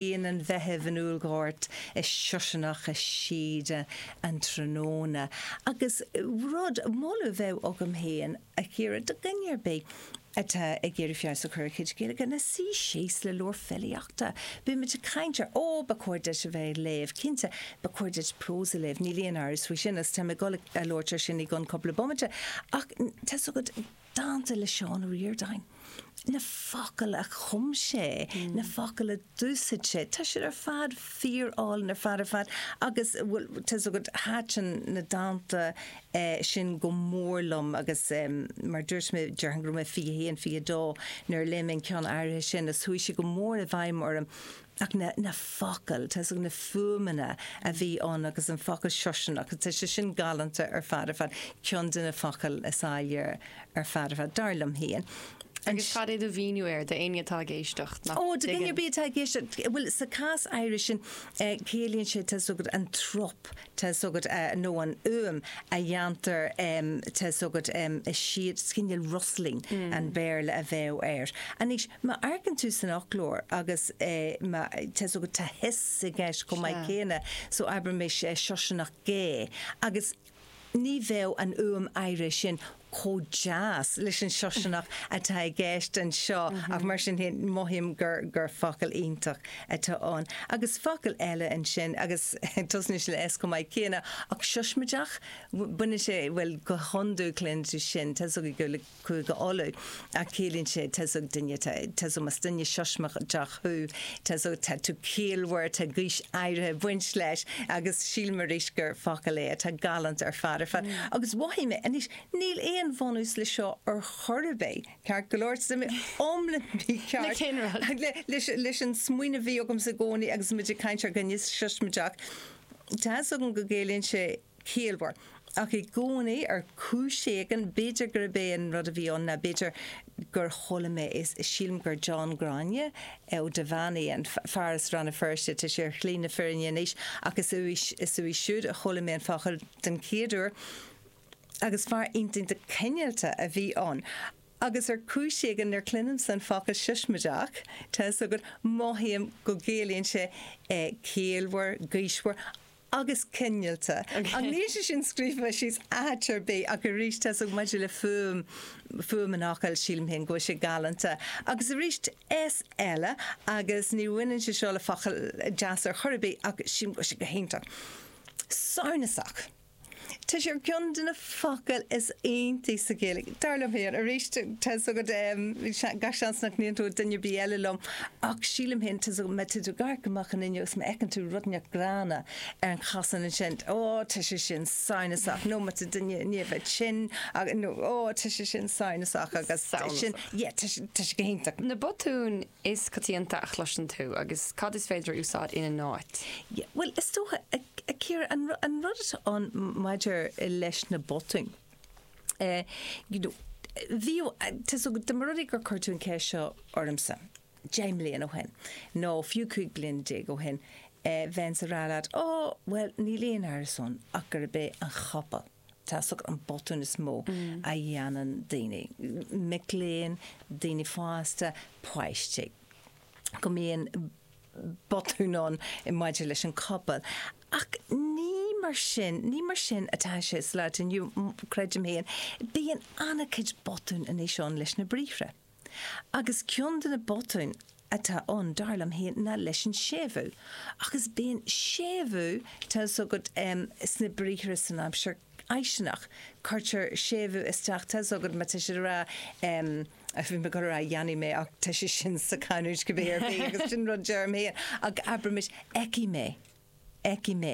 Grian an Mheithimh in úllghort is siosarnach i síoda an tráthnóna agus rud, moladh a bheadh agam féin a Chiara do dhuine ar bith atá ag iarraidh feabhas a chur ar a chuid Gaeilge ná suí síos le leabhar filíochta. Bímid ag caint ar, ó, ba chóir duit a bheith ag léamh, cinnte, ba chóir duit prós a léamh, níl aon amhras faoi sin agus táim ag dul a labhairt ar sin i gcionn cúpla bomaite ach tá's agat, dánta le Seán Ó Ríordáin, na focail a chum sé, na focail a d'úsaid sé, tá siad ar fad fíor álainn ar fad ar fad agus bhuel tá's agat thaitin na dánta sin go mór liom agus mar dúirt mé déarfainn go raibh mé 21, 22 nuair a léigh mé an ceann áirithe sin agus chuaigh sé go mór i bhfeidhm orm ach na focail, tá's agat, na fuaimeanna a bhí ann agus an focal siosarnach, tá sé sin galánta ar fad ar fad, ceann de na focail is áille ar fad ar fad, dar liom féin. Agus cad é do mhíniú air d'éinne atá ag éisteacht nach dtuigeann? Ó, do dhuine ar bith atá ag éisteacht, bhuel, sa chás áirithe sin, ciallaíonn sé, tá's agat, an trup, tá's agat nó an fhuaim a dhéantar tá's agat is siad cineál rustling an Béarla a bheadh air. Anois, má amharcann tú san fhoclóir agus má tá's agat tá hiss i gceist chomh maith céanna so abraimis siosarnach gé agus ní bheadh an fhuaim áirithe sin, chomh deas leis an siosarnach atá i gceist anseo ach mar sin féin mothaím gur gur focal iontach atá ann. Agus focal eile ansin agus tosnaíonn sé le S chomh maith céanna ach siosmaideach, baineann sé, bhuel go hiondúil cluineann tú sin, tá 's agat i nGaeilge Chúige Uladh ach ciallaíonn sé tá's agat duine atá, tá's agat más duine siosmaideach thú, tá's agat tá tú ciallmhar, tá gaois áirithe ag baint leis, agus sílim arís gur focal é atá galánta ar fad ar fad. Agus mhothaigh mé anois, níl aon bhunús le seo ar chor ar bith, ceart go leor, tá mé iomlán mícheart. Le cén rud? Leis, leis an smaoineamh a bhí agamsa i gcónaí agus muid ag caint ar dhuine siosmaideach, tá's agat go gciallaíonn sé ciallmhar. Ach i gcónaí, ar chúis éigin, b'fhéidir gurb é an rud a bhí ann ná b'fhéidir gur chuala mé é, sílim gur John Ghráinne Ó Duibheannaigh, an fear as Rann na Feirste, tá sé ar shlí na fírinne anois, ach is uaidh, is uaidh siúd a chuala mé an focal den chéad uair agus fear iontach cineálta a bhí ann. Agus ar chúis éigin nuair cluinimse an focal siosmaideach, tá 'fhios agat, mothaím go gciallaíonn sé ciallmhar, gaoismhear. agus cineálta. Ach níl sé sin scríofa síos áit ar bith ach arís tá's agat maidir le fuaim, fuaim an fhocail sílim féin go bhfuil sé galánta. Agus arís S eile agus ní bhaineann sé seo le focail deasa ar chor ar bith ach sílim go bhfuil sé go hiontach. Samhnasach. Tá sé ar cheann de na focail is iontaí sa Ghaeilge, dar liom féin. Arís, tá's agat, gach seans nach n-aontóidh duine ar bith eile liom, ach sílim féin, tá's agat, má tá tú ag amharc amach an fhuinneog is má fheiceann tú rud inteacht gránna ar an chosán ansin, ó, tá sé sin samhnasach, nó má tá duine i ndiaidh bheith tinn, nó, ó, tá sé sin samhnasach, agus tá sin, yeah, tá sé go hiontach. Na botúin is coitianta a chloiseann tú agus cad is féidir a úsáid ina n-áit? Yeah, bhuel, is dócha, a Chiara, an rud atá ann maidir leis na botúin, eh, you know, bhí, tá's agat, dá mba rud é gur chuir tú an ceist seo ormsa, deich mbliana ó shin, nó fiú cúig bliana déag ó shin, eh, bheinnse ag rá leat, oh, bhuel, níl aon amhras ann ach gurb é an chopail, tá's agat, an botún is mó a dhéanann daoine, mic léinn, daoine fásta, páistí, go mbíonn botún ann maidir leis an copail. Ach ní mar sin, ní mar sin atá sé sa lá atá inniu, creidim féin. Bíonn an-chuid botún anois ann leis na briathra. Agus ceann de na botúin atá ann, dar liom féin, ná leis an séimhiú, ach is bíonn séimhiú, tá 'fhios agat, sna briathra san aimsir fháistineach, cuirtear séimhiú isteach, tá 'fhios agat, má tá siad ag rá, bhí mé ag rá dhéanfaidh mé ach tá sé sin sa chanúint cibé ar bith agus sin rud a deirim féin, ach abraimis fheicfidh mé. fheicfidh mé,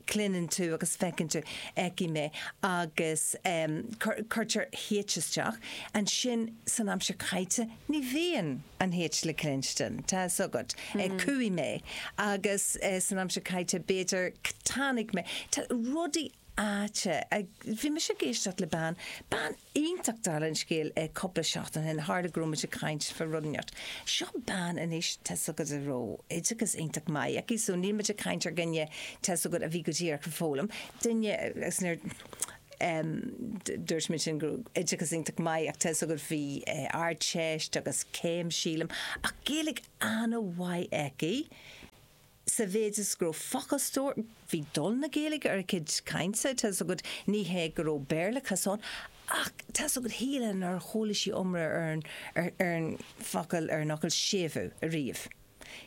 cluineann tú agus feiceann tú, fheicfidh mé agus cuirtear H isteach. Ansin san aimsir chaite ní bhíonn an H le cluinstin, tá fhios agat. Cuaigh mé agus san aimsir chaite b'fhéidir tháinig mé. Tá rudaí aite. Bhí mise ag éisteacht le bean, bean Iontach dála an scéil é cúpla seachtain ó shin, tharla go raibh muid ag caint faoi rud inteacht. Seo bean anois tá's agat a raibh oideachas iontach maith aici so níl muid ag caint ar dhuine tá's agat a bhí go díreach ag foghlaim, duine agus nuair dúirt mé sin go raibh oideachas iontach maith ach tá's agat bhí ardteist agus céim sílim ach Gaeilge ana-mhaith aici. sa mhéid is go raibh focalstór, bhí dul na Gaeilge ar a cuid cainte, tá's agat, ní hé go raibh Béarlachas ann, ach tá's agat, shílfeá nár chuala sí iomrá ar an bhfocal, ar an fhocal séimhiú ariamh.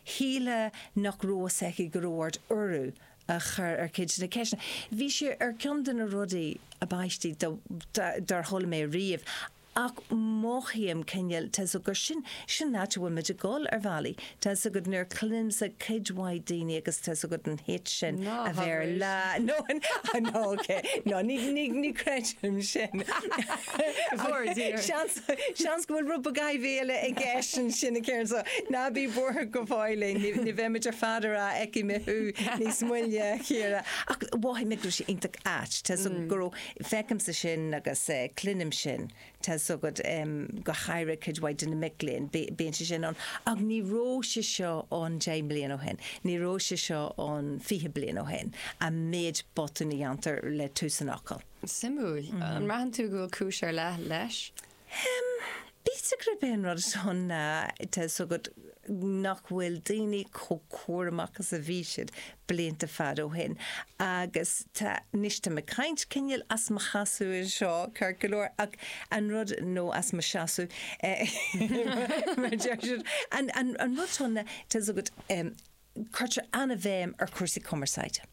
Shílfeá nach raibh fhios aici go raibh ort urú a chur ar chuid de na ceisteanna. Bhí sé ar cheann de na rudaí ab aistí dár chuala mé ariamh. Ach mothaím cineál, tá 's agad, sin, sin an áit a bhfuil muid ag dul, ar bhealaí. Tá 's agad, nuair a chluinimse cuid mhaith daoiní agus tá 's agad an h sin, Ná a bheith ar thabhairíst. lá, no, I know, ok, no, ní, ní, ní chreidim sin. Go bhfóire Dia ort. Seans, seans go bhfuil rud beag eile i gceist ansin a Chiaráin, so. Ná bí buartha go fóillín, ní, ní bheidh muid ar fad ag rá feicfidh mé thú níos moille, Ciara. Ach mhothaigh mé go raibh sé iontach ait, tá 's agad go raibh Feicimse sin agus cluinim sin, tá's agat, go háirithe cuid mhaith de na mic léinn, bíonn sé sin ann, ach ní raibh sé seo ann deich mbliana ó shin, ní raibh sé seo ann fiche bliain ó shin, an méid botún a dhéantar le tús an fhocail. Suimiúil. An mbraitheann tú go bhfuil cúis ar leith leis? Em, b'fhéidir gurb é an rud atá ann ná tá's agat nach bhfuil daoine chomh cúramach is a bhí siad blianta fada ó shin agus tá, anois táim ag caint cineál as mo sheasamh anseo, ceart go leor, ach an rud, nó as mo seasamh, mar a deir siad, an rud atá ann ná, tá's agat, em, cuirtear an-bhéim ar chúrsaí cumarsáide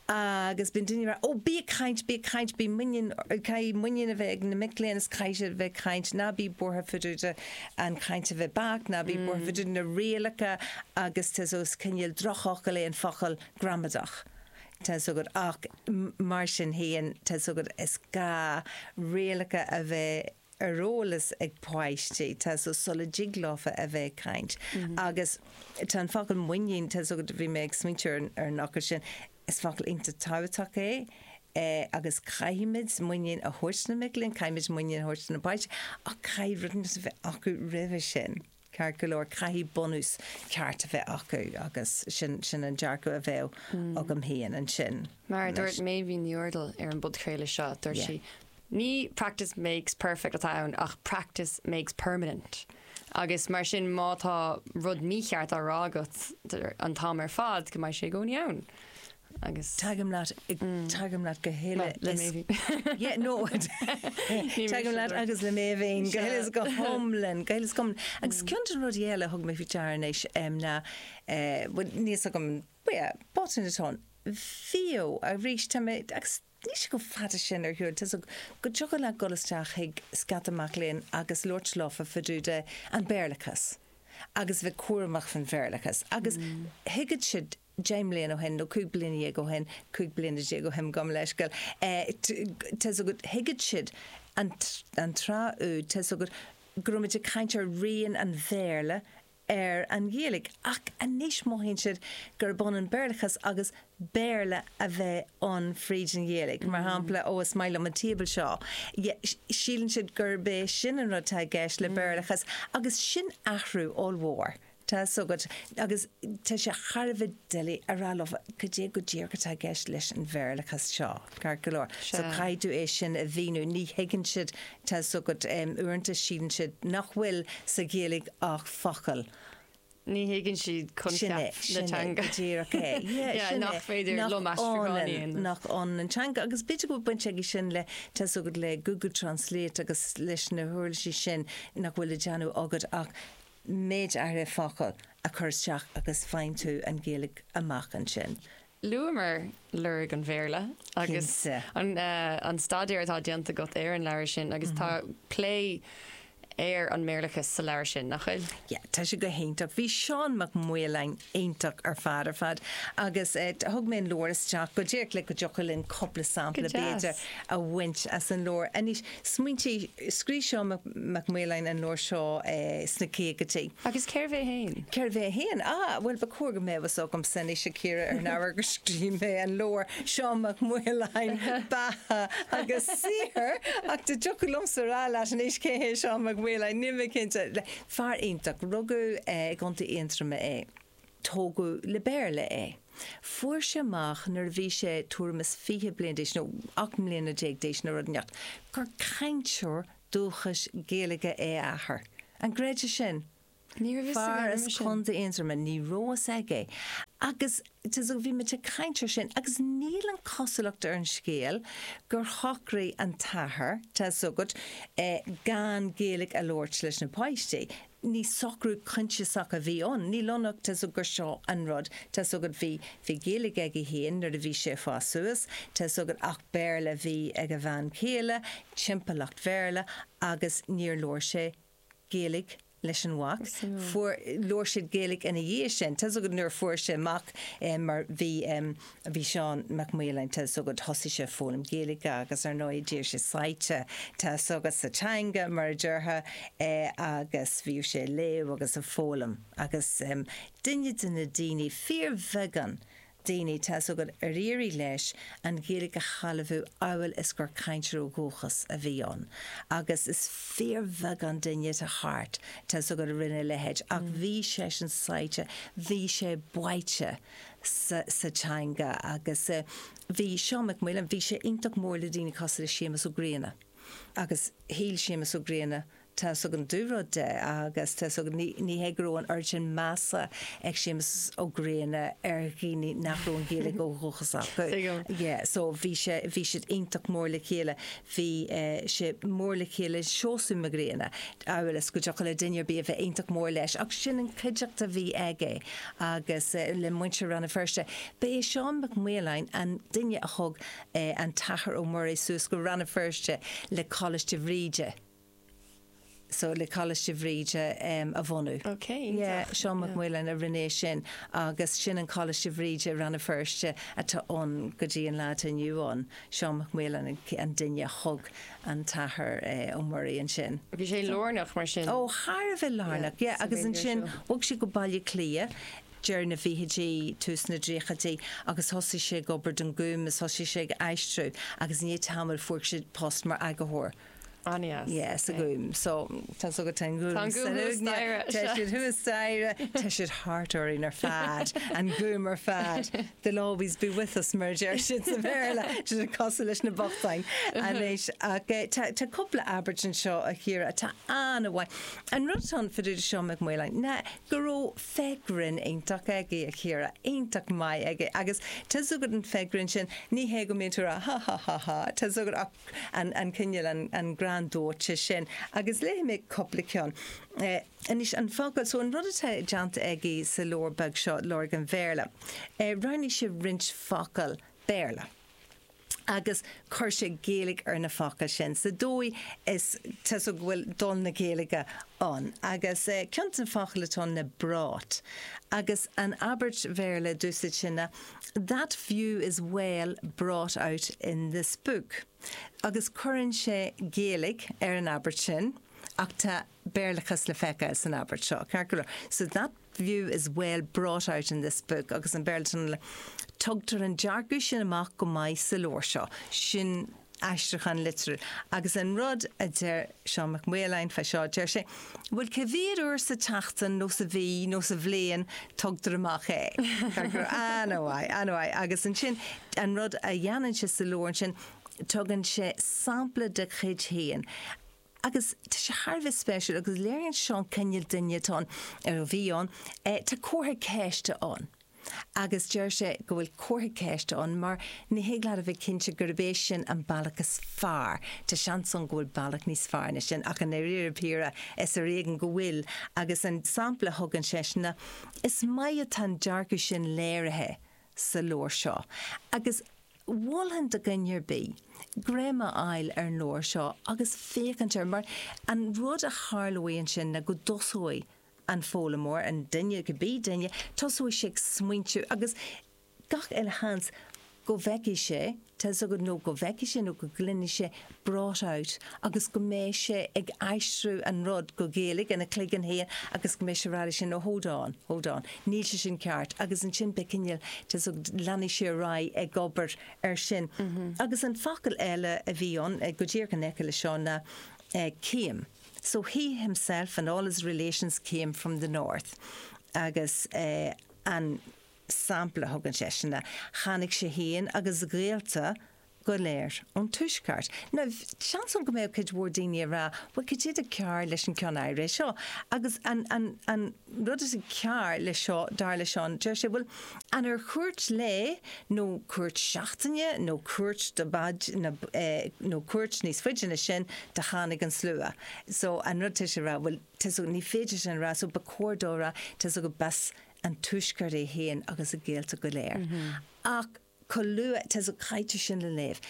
agus bíonn daoine ag rá 'Ó, bí ag caint, bí ag caint, bí muinín, caithfidh muinín a bheith ag na mic léinn is caithfidh siad a bheith ag caint, ná bí buartha fá dtaobh de an chaint a bheith beacht, ná bí buartha fá dtaobh de na rialacha agus tá's, is cineál drochfhocal é an focal gramadach, tá's agat ach mar sin féin tá's agat is gá rialacha a bheith. ar eolas ag páistí tá's agat sula dtig leofa a bheith ag caint agus tá an focal muinín tá's agat bhí mé ag smaointiú ar an fhocal sin is focal iontach tábhachtach é agus caithfimid muinín a thabhairt do na mic léinn, caithfimid muinín a thabhairt do na páistí ach caithfidh rudaí mar sin a bheith acu roimhe sin. Ceart go leor, caithfidh bunús ceart a bheith acu agus sin an dearcadh a bheadh agam féin ansin. Mar a dúirt Meidhbhín Ní Úrdail ar an bpodchraoladh seo, dúirt sí, ní practice makes perfect atá ann ach practice makes permanent agus mar sin má tá rud mícheart á rá agat an t-am ar fad, go mbeidh sé i gcónaí ann. Tagaim leat, tagaim leat go huile le mé féin. Yeah, no, tagaim leat agus le mé féin go huile is go hiomlán, go huile is go hiomlán. Agus ceann de na rudaí eile a thug mé faoi deara anois ná, bhuel, níl fhios agam, yeah, botún atá ann, bhíodh arís, tá mé, agus níl sé chomh fada sin ar shiúl, tá's agat go dtiocfadh leat dul isteach chuig scaifte mac léinn agus labhairt leofa fá dtaobh de an Béarlachas agus bheith cúramach fán Bhéarlachas agus thuigfeadh siad, deich mbliana ó shin nó cúig bliana dhéag ó shin, cúig bliana déag ó shin, gabh mo leithscéal, tá's agat, thuigeadh siad an tráth úd, tá's agat go raibh muid ag caint ar rian an Bhéarla ar an Ghaeilge ach anois mothaíonn siad gurb ionann Béarlachas agus Béarla a bheith ann fríd an Ghaeilge. Mar shampla, ó is maith liom an table seo, síleann siad gurb é sin an rud atá i gceist le Béarlachas agus sin athrú ollmhór. Tá's agat, agus tá sé thar a bheith doiligh a rá leo cad é go díreach atá i gceist leis an Bhéarlachas seo, ceart go leor. So caithfidh tú é sin a mhíniú. Ní thuigeann siad, tá's agat, uaireanta síleann siad nach bhfuil sa Ghaeilge ach focail. Ní thuigeann siad coincheap na teanga. Go díreach é. Yeah, nach féidir liom aistriúchán a dhéanamh. Nach ionann an teanga, agus b'fhéidir go bhfuil baint aige sin le, tá's agat, le Google Translate agus leis na huirlisí sin nach bhfuil le déanamh agat ach méid áirithe focal a chur isteach agus faigheann tú an Ghaeilge amach ansin. Luamar lorg an Bhéarla agus an staidéar atá déanta agat ar an leabhar sin agus tá plé ar an mBéarlachas sa leabhar sin, nach bhfuil? Yeah, tá sé go hiontach. Bhí Seán Mac Maoláin iontach ar fad ar fad agus thug mé an leabhar isteach go díreach le go dtiocfadh linn cúpla sampla b'fhéidir a bhaint as an leabhar. Smaointí, Scrígh Seán Mac Maoláin an leabhar seo sna caogaidí. Agus cérbh é féin? Cérbh é féin? Ah, bhuel, ba chóir go mbeadh fhios agamsa anois, a Chiara, ar an ábhar gur scrígh mé an leabhar, Seán Mac Maoláin, Beatha agus Saothar, ach dá dtiocfadh liomsa a rá leat anois cé hé Seán Mac Maoláin, níl mé cinnte. Fear iontach. Rugadh i gContae Aontroma é. tógadh le Béarla é. Fuair sé amach nuair a bhí sé tuairim is fiche bliain d'aois nó ocht mbliana déag d'aois nó rud inteacht, gur cainteoir dúchais Gaeilge é a athair. An gcreidfeá sin? Ní raibh fhios aige roimhe sin. Fear as Contae Aontroma, ní raibh fhios aige é. Agus tá's agat bhí muid ag caint air sin agus níl an cosúlacht ar an scéal gur shocraigh an t-athair, tá's agat, gan Gaeilge a labhairt leis na páistí. ní socrú coinsiasach a bhí ann, níl ann ach tá's agat gur seo an rud tá's agat bhí, bhí Gaeilge aige féin nuair a bhí sé ag fás suas, tá's agat ach Béarla a bhí ag a bhean chéile, timpeallacht Bhéarla agus níor labhair sé Gaeilge leis an mhac, fuair, labhair siad Gaeilge ina dhiaidh sin, tá's agat nuair a fuair sé amach mar bhí, a bhí Seán Mac Maoláin tá's agat thosaigh sé ag foghlaim Gaeilge agus, ar ndóigh, d'éirigh sé sáite tá's agat sa teanga, mar a déarfá, agus bhíodh sé ag léamh agus ag foghlaim agus duine de na daoine, fíorbheagán daoine, tá's agat ar éirigh leis an Ghaeilge a shealbhú amhail is gur cainteoir ó dhúchas a bhí ann agus is fíorbheagán duine atá thart tá's agat a rinne a leithéid ach bhí seisean sáite bhí sé báite sa teanga agus bhí Seán Mac Maoláin, bhí sé iontach mór le daoine cosúil le Séamus Ó Grianna agus shíl Séamus Ó Grianna tá's agam an-dúrud de agus tá's agam, ní hé go raibh an oiread sin measa ag Séamus Ó Grianna ar dhaoine nach raibh an Ghaeilge ó dhúchas acu, yeah, so bhí sé, bhí siad iontach mór le chéile. bhí sé mór le chéile, Seosamh Mac Grianna, a mhéad is go dtiocfadh le duine ar bith a bheith iontach mór leis, ach sin an chuideachta a bhí aige agus le muintir Rann na Feirste. Ba é Seán Mac Maoláin an duine a thug an tAthair Ó Muirí suas go Rann na Feirste le Coláiste Bhríde. so le Coláiste Bhríde a bhunú. Ok, iontach. Seán Mac Maoláin a rinne sin agus sin an Coláiste Bhríde i Rann na Feirste atá ann go dtí an lá atá inniu ann. Seán Mac Maoláin an duine a thug an tAthair Ó Muirí ansin. Bhí sé lárnach mar sin. Ó, thar a bheith lárnach, yeah. Agus ansin bhog sé go Baile Átha Cliath deireadh na bhfichidí, tús na dtríochaidí agus thosaigh sé ag obair don Gúm is thosaigh sé ag aistriú agus i ndiaidh tamaill fuair sé post mar eagarthóir. Anois. Yes, an Gúm. So, tá so go Teann Gúm. Tá an Gúm thuas staighre. Tá siad thuas staighre. Tá siad thart orainn ar fad. An Gúm ar fad. They'll always be with us mar a deir siad sa Bhéarla. Siad ag cosúil leis na bochtáin anois. Ach tá tá cúpla abairt anseo a chara atá an-mhaith. An rud fán fhear seo Mac Maoláin ná go raibh féith ghrinn iontach aige a chara. Iontach maith aige. Agus tá's agat an fhéith ghrinn sin ní hé go mbíonn tú ag rá ha ha ha ha. Tá's agat ach an cineál, an greann dóite sin. Agus léifidh mé cúpla ceann. Anois, an focal, so an rud atá déanta aige sa leabhar beag seo, Lorg an Bhéarla, roghnaigh sé roinnt focal Béarla agus chuir sé Gaeilge ar na focail sin sa dóigh is, tá's agat go bhfuil dul na Gaeilge ann. Agus ceann de na focail atá ann ná brought. Agus an abairt Bhéarla, a d'úsáid sé ná. That view is well brought out in this book agus cuireann sé Gaeilge ar an abairt sin ach tá Béarlachas le feiceáil san abairt seo, ceart go leor. So that view is well brought out in this book agus an Béarlachas Tugtar an dearcadh sin amach go maith sa leabhar seo. Sin. aistriúchán litriúil. Agus an rud a deir Seán Mac Maoláin fá seo, deir sé, bhuel, cé mhéad uair sa tseachtain nó sa mhí nó sa bhliain tugtar amach é? An-mhaith, an-mhaith. Agus ansin, an rud a dhéanann sé sa leabhar ansin, tugann sé sampla de chuid féin. agus tá sé thar a bheith spéisiúil agus léiríonn seo an cineál duine atá ann, ar a bhí ann, tá comhartha ceiste ann agus deir sé go bhfuil comhartha ceiste ann mar ní thig leat a bheith cinnte gurb é sin an bealach is fearr, tá seans ann go bhfuil bealach níos fearr ná sin ach i ndáiríre píre is ar éigean go bhfuil agus an sampla a thugann seisean ná is maith atá an dearcadh sin léirithe sa leabhar seo agus. Mholfainn do dhuine ar bith greim a fháil ar an leabhar seo agus féachaint air mar an rud a tharlóidh ansin ná go dtosóidh an foghlaimeoir, an duine, cibé duine, tosóidh sé ag smaointiú agus gach uile sheans go bhfeicfidh sé, tá 'fhios agat, nó go bhfeicfidh sé nó go gcluinfidh sé brought out agus go mbeidh sé ag aistriú an rud go Gaeilge ina chloigeann féin agus go mbeidh sé ag rá leis féin, oh hold on, hold on, níl sé sin ceart agus ansin beidh cineál tá 'fhios agat, leanfaidh sé ar aghaidh ag obair ar sin. Agus an focal eile a bhí ann, go díreach in aice leis seo, ná came so he himself and all his relations came from the North agus an sampla a thugann seisean ná tháinig sé féin agus a ghaolta go léir ón Tuaisceart. Now, seans ann go mbeadh cuid mhór daoine ag rá, bhuel, cad é atá cearr leis an ceann áirithe seo? Agus an rud is cearr leis seo, dar le Seán, deir sé, bhuel, an ar chuairt lae nó cuairt seachtaine nó cuairt do nó cuairt níos faide ná sin do tháinig an slua? So, an rud tá sé a rá, bhuel, tá's agat, ní féidir sin a rá, so ba chóir dó a rá, tá's agat, b'as an Tuaisceart é féin agus a ghaolta go léir. Ach. chomh luath is a chaitear sin le léamh,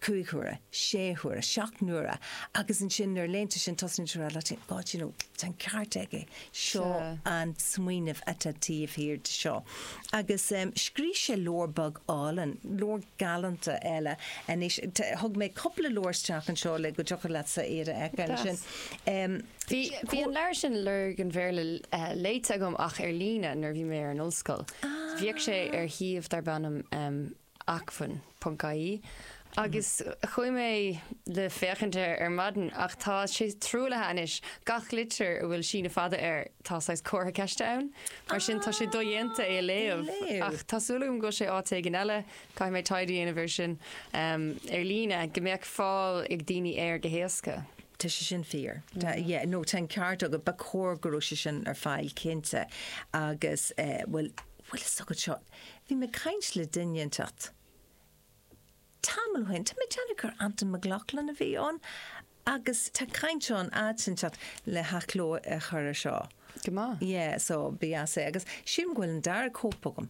cúig huaire, sé huaire, seacht n-uaire, agus ansin nuair a léann tú sin tosnaíonn tú a rá leat féin, God, you know, tá an ceart aige, seo an smaoineamh atá taobh thiar de seo. Agus scríobh sé leabhar beag álainn, leabhar galánta eile anois, thug mé cúpla leabhar isteach anseo le go dtiocfadh leatsa iad a fheiceáil ansin. Bhí an leabhar sin, Lorg an Bhéarla, léite agam ach ar líne nuair a bhí mé ar an ollscoil. Bhíodh sé ar shuíomh darb ainm acmhainn ponc ie agus chuaigh mé le féachaint air ar maidin ach tá sé truaillithe anois. Gach litir a bhfuil síneadh fada air, tá saghas comhartha ceiste ann. Mar sin tá sé dodhéanta é a léamh. Ach tá súil agam go bhfuil sé áit éigin eile. Caithfidh mé taighde a dhéanamh air sin ar líne, go mbeadh fáil ag daoine air go héasca. Tá sé sin fíor. Tá, yeah, nó tá an ceart agat, ba chóir go raibh sé sin ar fáil cinnte agus, eh, bhfuil, bhfuil a fhios agat seo, bhí mé ag caint le duine inteacht tamall ó shin, tá mé ag déanamh gur Antain Mac Lochlainn a bhí ann agus tá caint ann áit inteacht le hathchló a chur ar seo. Go maith. Yeah, so, ba dheas é agus sílim go bhfuil an dara cóip agam.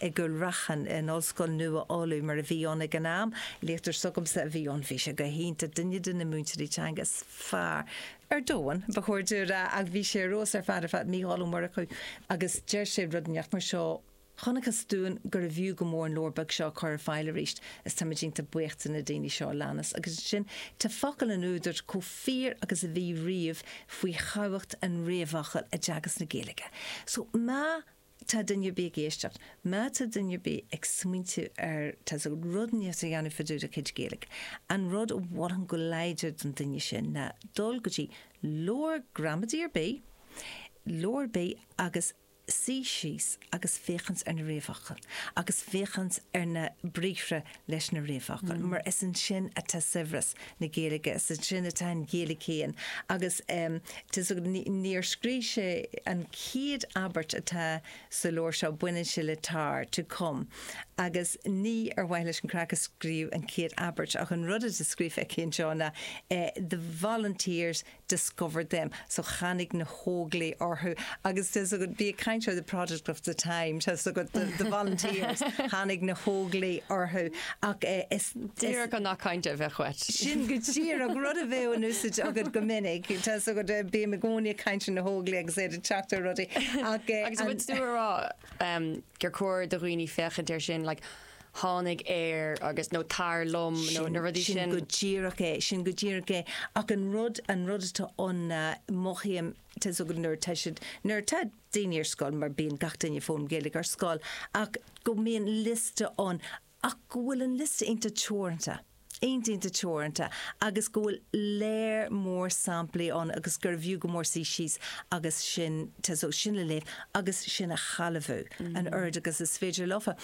i gCúil Raithin, in Ollscoil Nua Uladh, mar a bhí ann ag an am. Léachtóir s'agamsa a bhí ann. Bhí sé go hiontach, duine de na múinteoirí teanga is fearr ar domhan, ba chóir dom a rá, ach bhí sé ar fheabhas ar fad ar fad, Mícheál Ó Murchú, agus deir sé rud inteacht mar seo, 'Chonacthas dúinn gurbh fhiú go mór an leabhar beag seo a chur ar fáil arís, is táimid iontach buíoch de na daoine seo a leanas'. Agus ansin tá focail an údair chomh fíor agus a bhí riamh faoi thábhacht an réamhfhocail i dteagasc na Gaeilge. So má. tá duine ar bith ag éisteacht, má tá duine ar bith ag smaointiú ar rud inteacht a dhéanamh fá dtaobh dá chuid Gaeilge, an rud a mholfainn go láidir don duine sin ná dul go dtí leabhar gramadaí ar bith, leabhar ar bith agus suí síos agus féachaint ar na réamhfhocail agus féachaint ar na briathra leis na réamhfhocail, mar is ansin atá saibhreas na Gaeilge, is ansin atá an Ghaeilge féin agus níor scríobh sé an chéad abairt atá sa leabhar seo, baineann sé le tar, to come, agus ní ar mhaithe leis an gcraic a scríobhadh an chéad abairt ach an rud atá scríofa aige anseo ná the volunteers discovered them, so tháinig na hÓglaigh orthu agus tá's agat be a kind of the product of the time, tá's agat the the volunteers, tháinig na hÓglaigh orthu ach eh is Díreach an not kind of a choit. sin go díreach rud a bheadh in úsaid agat go minic, tá's agat eh bím i gcónaí ag caint ar na hÓglaigh agus iad ag teacht ar rudaí ach eh Agus an rud tá mé a rá em gur cóir do dhaoine féachaint air sin like tháinig air agus, nó tar liom nó na rudaí sin. Sin go díreach é, sin go díreach é. Ach an rud, an rud atá ann, mothaím, tá's agat nuair atá siad, nuair atá daoine ar scoil, mar bíonn gach duine ag foghlaim Gaeilge ar scoil, ach go mbíonn liosta ann ach go bhfuil an liosta iontach teoranta. iontach iontach teoranta agus go bhfuil lear mór samplaí ann agus gurbh fhiú go mór suí síos agus sin sin a léamh agus sin a shealbhú an oiread agus is féidir leofa.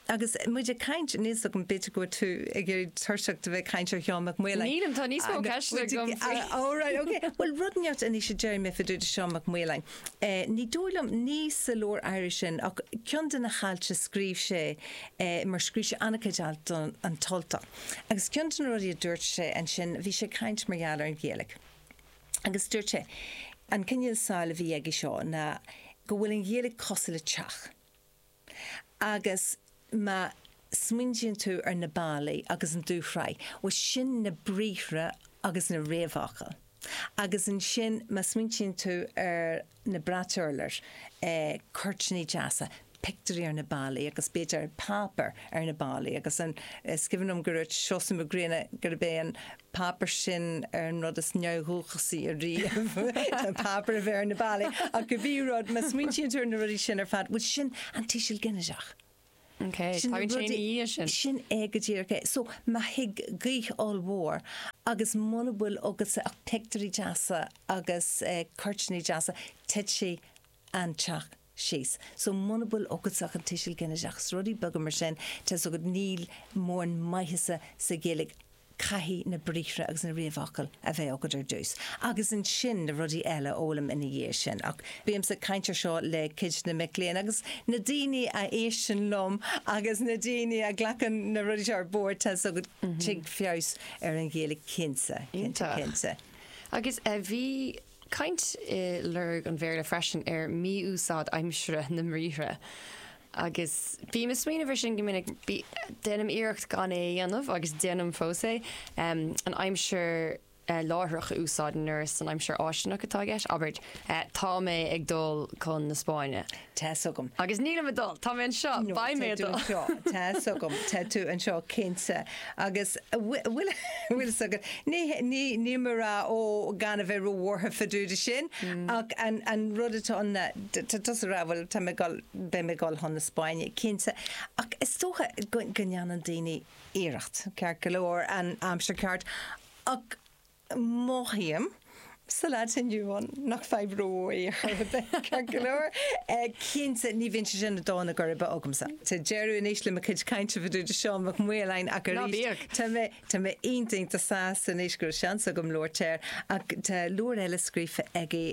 Agus muid ag caint, níl 's agam, b'fhéidir go bhfuil tú ag éirí tuirseach de bheith ag caint ar Sheán Mac Maoláin. Nílim, tá níos mó ceisteanna agam faoi. Alright, okay. Bhuel rud inteacht anois a déarfaidh mé fá dtaobh de Sheán Mac Maoláin. Ní dóigh liom, ní sa leabhar áirithe sin ach ceann de na hailt a scríobh sé, mar scríobh sé an-chuid alt do An tUltach agus ceann de na rudaí a dúirt sé ansin, bhí sé ag caint mar gheall ar an Ghaeilge agus dúirt sé, an cineál samhail a bhí aige seo ná go bhfuil an Ghaeilge cosúil le teach. Agus má smaointíonn tú ar na ballaí agus an dúshraith, bhuel sin na briathra agus na réamhfhocail. Agus ansin má smaointíonn tú ar na brait urláir, cuirtíní deasa, pictiúirí ar na ballaí agus b'fhéidir páipéar ar na ballaí agus an, is cuimhin liom gur dúirt Seosamh Mac Grianna gurb é an páipéar sin ar an rud is neamhdhúchasaí ariamh, an páipéar a bheith ar na ballaí, ach cibé rud, má smaointíonn tú ar na rudaí sin ar fad, bhuel sin an tuiseal ginideach. Ok, tagann sé ina dhiaidh sin. Sin é go díreach é. So, má thig gaoth ollmhór agus muna bhfuil agatsa ach pictiúirí deasa agus cuirtíní deasa, tig sí an teach síos. So muna bhfuil agatsa ach an tuiseal ginideach, is rudaí beaga mar sin, tá 's agat, níl mórán maitheasa sa Ghaeilge, caithfidh na briathra agus na réamhfhocail a bheith agat ar dtús agus ansin na rudaí eile a fhoghlaim ina dhiaidh sin. Ach bímse ag caint ar seo le cuid de na mic léinn agus na daoine a éisteann liom agus na daoine a ghlacann na rudaí seo ar bord, tá 's agat, tig feabhas ar an Ghaeilge cinnte, cinnte, cinnte. Agus bhí caint i Lorg an Bhéarla freisin ar mhí-úsáid aimsire na mbriathra agus bím ag smaoineamh ar sin go minic. Déanaim iarracht gan é a dhéanamh agus déanaim fós é, an aimsir láithreach a úsáid nuair is an aimsir fháistineach atá i gceist, abair, tá mé ag dul chun na Spáinne. Tá 's agam. Agus nílim ag dul. Tá mé anseo. Beidh mé ag dul. Tá tú anseo. Tá 's agam. Tá tú anseo cinnte. Agus bhfuil fhios agat, níl mé ag rá ó gan a bheith róbhuartha fá dtaobh de sin ach an rud atá ann, tá tusa ag rá bhuel tá mé ag dul, beidh mé ag dul chun na Spáinne cinnte. Ach is dócha go ndéanann daoine iarracht, ceart go leor, an aimsir ceart ach Mothaím sa lá atá inniu ann nach fadhb rómhór ar chor ar bith, ceart go leor. Cinnte, ní bhíonn sé sin i dtólamh ar chor ar bith agamsa. Tá deireadh anois le mo chuid cainte fá dtaobh de Sheán Mac Maoláin ach arís, tá mé iontach iontach sásta anois go raibh seans agam labhairt air ach tá leabhar eile scríofa aige,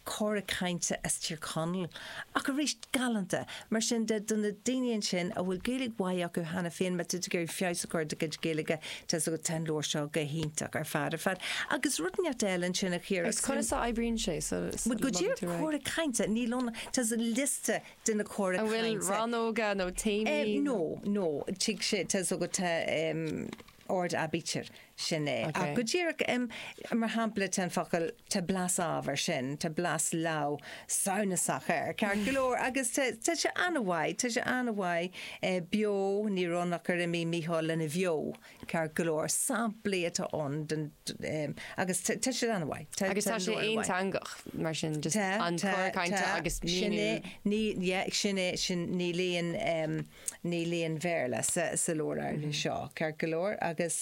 Cora Cainte as Tír Chonaill, ach arís galánta. Mar sin de, do na daoine ansin a bhfuil Gaeilge mhaith acu cheana féin, má tá tú ag iarraidh feabhas a chur ar do chuid Gaeilge, tá 's agat, tá an leabhar seo go hiontach ar fad ar fad. Agus rud inteacht eile ansin a Chiara. Agus conas a oibríonn sé? Bhuel, go díreach cora cainte, níl ann, tá liosta de na cora cainte. An bhfuil rannóga nó téamaí? No, no, tig sé, tá 's agat, in ord aibítir. Sin é. Ach go díreach, mar shampla, tá an focal, tá blas abair, sin, tá blas leamh samhnasach air, ceart go leor, agus tá tá sé an-mhaith, tá sé an-mhaith, eh, beo, ní raibh ann ach gur imigh Micheál lena bheo, ceart go leor, samplaí atá ann den, em, agus tá tá siad an-mhaith. Tá Agus tá tá siad sé mór an-mhaith. aonteangach, mar sin, just Tá, an tá, cora cainte tá, agus sin é, míniú. ní, yeah, sin é, sin, ní léann, em, Níl aon Bhéarla sa leabhar áirithe seo, ceart go leor, agus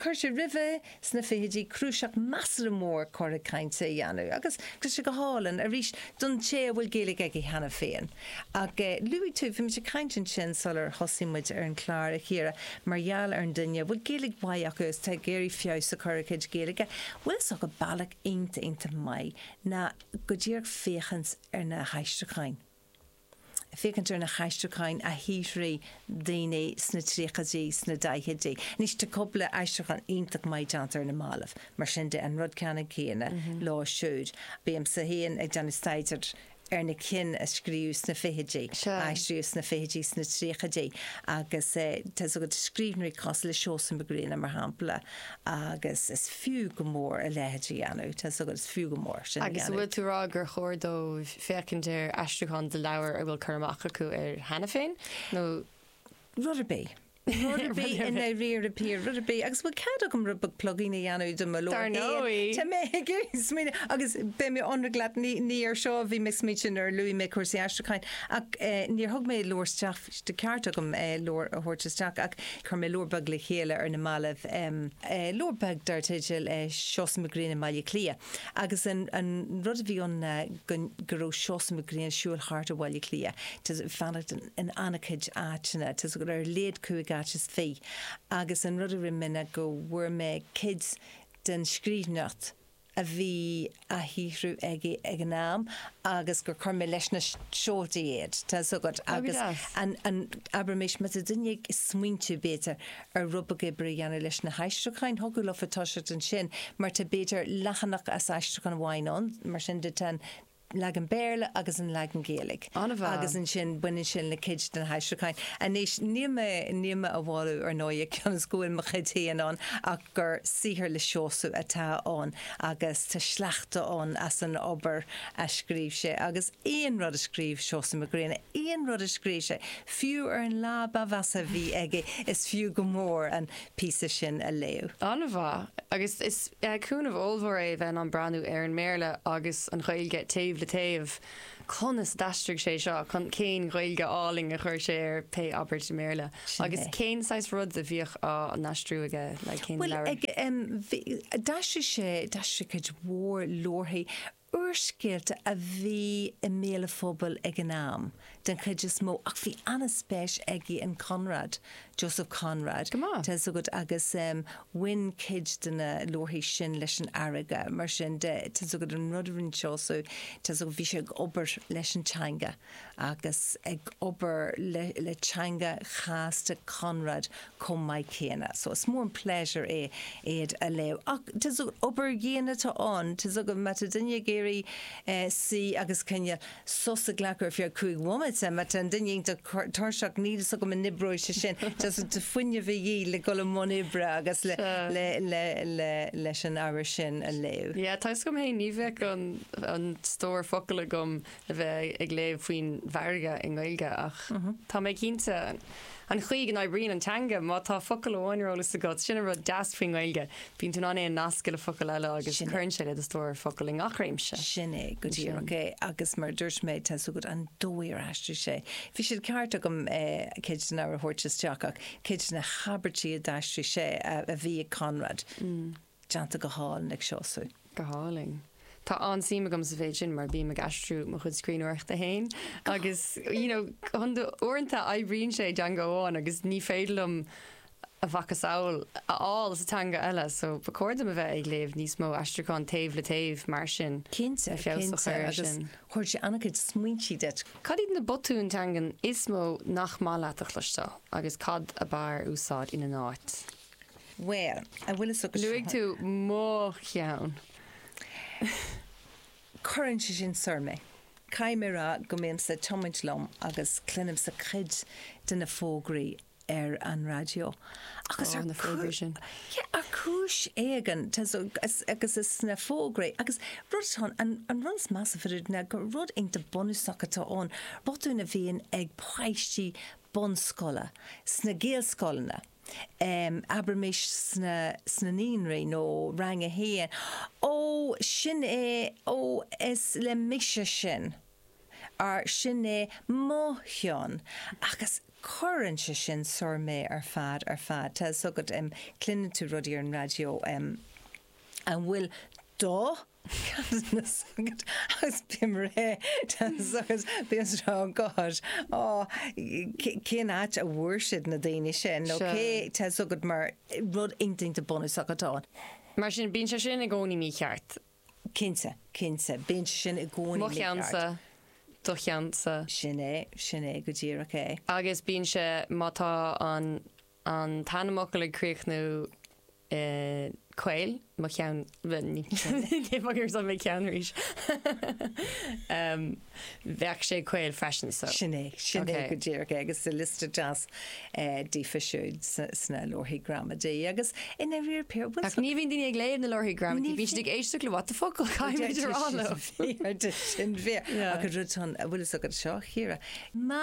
chuir sé roimhe sna fichidí cnuasach measartha mór cora cainte a dhéanamh, agus tá sé go hálainn, arís, don té a bhfuil Gaeilge aige cheana féin. Ach luaigh tú, bhí muid ag caint ansin sular thosaigh muid ar an chlár, a Chiara, mar gheall ar an duine a bhfuil Gaeilge mhaith acu agus atá ag iarraidh feabhas a chur ar a chuid Gaeilge. Bhfuil a fhios agat, bealach iontach, iontach maith ná go díreach féachaint ar na haistriúcháin. féachaint ar na haistriúcháin a shaothraigh daoine sna tríochaidí, sna daichidí. Anois, tá cúpla aistriúchán iontach maith déanta ar na mallaibh, mar sin de, an rud ceannann céanna leo siúd. Bímse féin ag déanamh staidéir ar na cinn a scríobhadh sna fichidí, a aistríodh sna fichidí, sna tríochaidí, agus tá a fhios agat, scríbhneoirí cosúil le Seosamh Mac Grianna, mar shampla, agus is fiú go mór a leithéid a dhéanamh, tá a fhios agat, is fiú go mór sin a dhéanamh. Agus an bhfuil tú ag rá gur chóir dóibh féachaint ar aistriúchán de leabhar a bhfuil cur amach acu air cheana féin nó. rud ar bith. Rud ar bith i ndáiríre píre, rud ar bith. Agus bhfuil cead agam rud beag plugging a dhéanamh do mo leabhar féin? Dar ndóigh! Tá mé ag smaoineamh, agus beidh mé ionraic leat, ní, ní ar seo a bhí mé ag smaointiú nuair a luaigh mé cúrsaí aistriúcháin, ach níor thug mé leabhar isteach, bhí sé de cheart agam leabhar a thabhairt isteach, ach chuir mé leabhar beag le chéile ar na mallaibh, leabhar beag dar teideal Seosamh Mac Grianna i mBaile Átha Cliath. Agus an rud a bhí ann ná go raibh Seosamh Mac Grianna ag siúl thart ar Bhaile Átha Cliath, ag fanacht in an-chuid áiteanna, tá a fhios agat, ar a laghad cúig áit is fiche. Agus an rud a rinne mé ná go bhfuair mé cuid den scríbhneoireacht a bhí á shaothrú aige ag an am agus gur chuir mé leis na seoltaí iad, tá a fhios agat. Agus abraimis, má tá duine ag smaointiú, b'fhéidir, ar rud beag oibre a dhéanamh leis na haistriúcháin. Thiocfadh leofa toiseacht ansin mar tá, b'fhéidir, leathanach as aistriúchán amháin ann, mar sin de tá an leagan Béarla agus an leagan Gaeilge agus An-mhaith. ansin baineann sin le cuid de na haistriúcháin. Anois, níl mé, níl mé á mholadh, ar ndóighe, cionn is go bhfuil mo chuid féin ann, ach gur saothar le Seosamh atá ann agus tá sleachta ann as an obair a scríobh sé agus aon rud a scríobh Seosamh Mac Grianna, aon rud a scríobh sé, Fiú ar an lá ba mheasa a bhí aige, is fiú go mór an píosa sin a léamh. An-mhaith. Agus is cúnamh ollmhór é a bheith in ann breathnú ar an mBéarla agus an Ghaeilge taobh le taobh. Conas a d'aistrigh sé seo? Cén Ghaeilge álainn a chuir sé ar pé abairt i mBéarla? Sin é. Agus cén saghas rud a bhíodh á n-aistriú aige? Like, cén leabhar? Bhuel, d'aistrigh sé, d'aistrigh cuid mhór leabharthaí. Úrscéalta a bhí i mbéal an phobail ag an am, den chuid is mó, ach bhí an-spéis aige in Conrad, Joseph Conrad, tá a fhios agat, agus bhain cuid de na leabharthaí sin leis an fharraige. Mar sin de, tá a fhios agat, an rud a rinne Seosamh, tá a fhios agat, bhí sé ag obair leis an teanga. agus ag obair le le teanga chasta Conrad chomh maith céanna. So is mór an pléisiúr é iad a léamh. Ach tá fhios agat obair dhian atá ann. Tá fhios agat má tá duine ag iarraidh suí agus cineál sos a ghlacadh ar feadh cúig bhomaite, má tá an duine iontach tuirseach níl fhios agam an n-oibreoidh sé sin. Tá fhios agat tá fuinneamh de dhíth le dul i mbun oibre agus le le le le leis an ábhar sin a léamh. Yeah, tá fhios agam fhéin, ní bheadh an an stór focal agam le bheith ag léamh faoin bhfarraige i nGaeilge ach tá mé cinnte an chaoi go n-oibríonn an teanga, má tá focal amháin ar eolas agat, sin an rud deas faoin nGaeilge, bíonn tú in ann é a nascadh le focal eile agus cuireann sé le do stór focal i ngach réimse. Sin é go díreach é agus mar a dúirt mé, tá a fhios agat an dóigh ar aistrigh sé, bhí sé ceart agam cuid de na a thabhairt isteach ach cuid de na habairtí a d'aistrigh sé a bhí ag Conrad. Déanta go hálainn ag Seosamh. Go hálainn. Tá an-suim agam sa mhéid sin mar bím ag aistriú mo chuid scríbhneoireachta féin agus you know uaireanta oibríonn sé i dteanga amháin agus ní féidir liom a mhacasamhail a fháil sa teanga eile so ba chóir dom a bheith ag léamh níos mó aistriúcháin taobh le taobh mar sin le feabhas a chur air sin. Cinnte, cinnte agus chuir sé an-chuid smaointe duit. Cad iad na botúin teanga is mó nach maith leat a chloisteáil agus cad ab fhearr a úsáid ina n-áit? Bhuel, an bhfuil fhios agat. Luaigh tú mo cheann. Cuireann sé sin soir mé. Caithfidh mé a rá go mbímse ag tiomáint liom agus cluinimse cuid de na fógraí ar an raidió agus ar chúis éigin, agus is sna fógraí, agus rud atá ann, an rud is measa fá dtaobh de ná gur rud iontach bunúsach atá ann, botúin a bhíonn ag páistí bunscoile sna Gaelscoileanna. abraimis sna naíonraí nó Rang a hAon, ó, sin é, ó, is le mise sin, or sin é mo cheann, agus cuireann sé sin soir mé ar fad, ar fad. Tá a fhios agat, cluineann tú rudaí ar an raidió, an bhfuil do. chead mise agat agus bím réidh duit agus bíonn stró agat. Á, cén áit a bhfuair siad na daoine sin nó cé tá a fhios agat mar rud iontach bunúsach atá ann. Mar sin, bíonn sé sin i gcónaí mícheart. Cinnte, cinnte, bíonn sé sin i gcónaí mícheart. Mo cheannsa, do cheannsa. Sin é, sin é, go díreach é. Agus bíonn sé, má tá an. an t-ainmfhocal ag críochnú i caol, mo cheann, ní bhfuair san mo cheann arís, bheadh sé caol freisin so. Sin é, sin é go díreach agus sa liosta deas díobh siúd sna leabharthaí gramadaí agus in every pair. Ach ní bhíonn daoine ag léamh na leabharthaí gramadaí, bíonn siad ag éisteacht le what the fuck caitheadh rá leo. Sin é, agus rud a bhfuil a fhios agat seo, Ciara. Má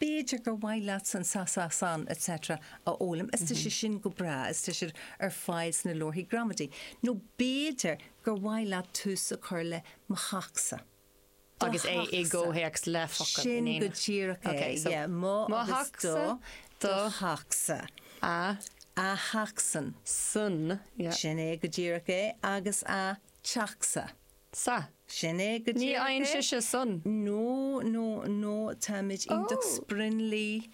B'fhéidir gur mhaith leat san sa sa san etc a fhoghlaim is tá siad sin go breá is tá siad ar fáil sna leabharthaí gramadaí. Nó b'fhéidir gur mhaith leat tús a chur le mo theachsa. Agus é i gcomhthéacs le focail in éineacht. Sin go díreach é, yeah, mo agus do, do theachsa, a, a theachsan, san, yeah. Sin é go díreach é, agus a, teachsa. sa. Sin é go Ní díreach fhaigheann é. sise an san. No, no, no, táimid iontach Oh. sprionlaí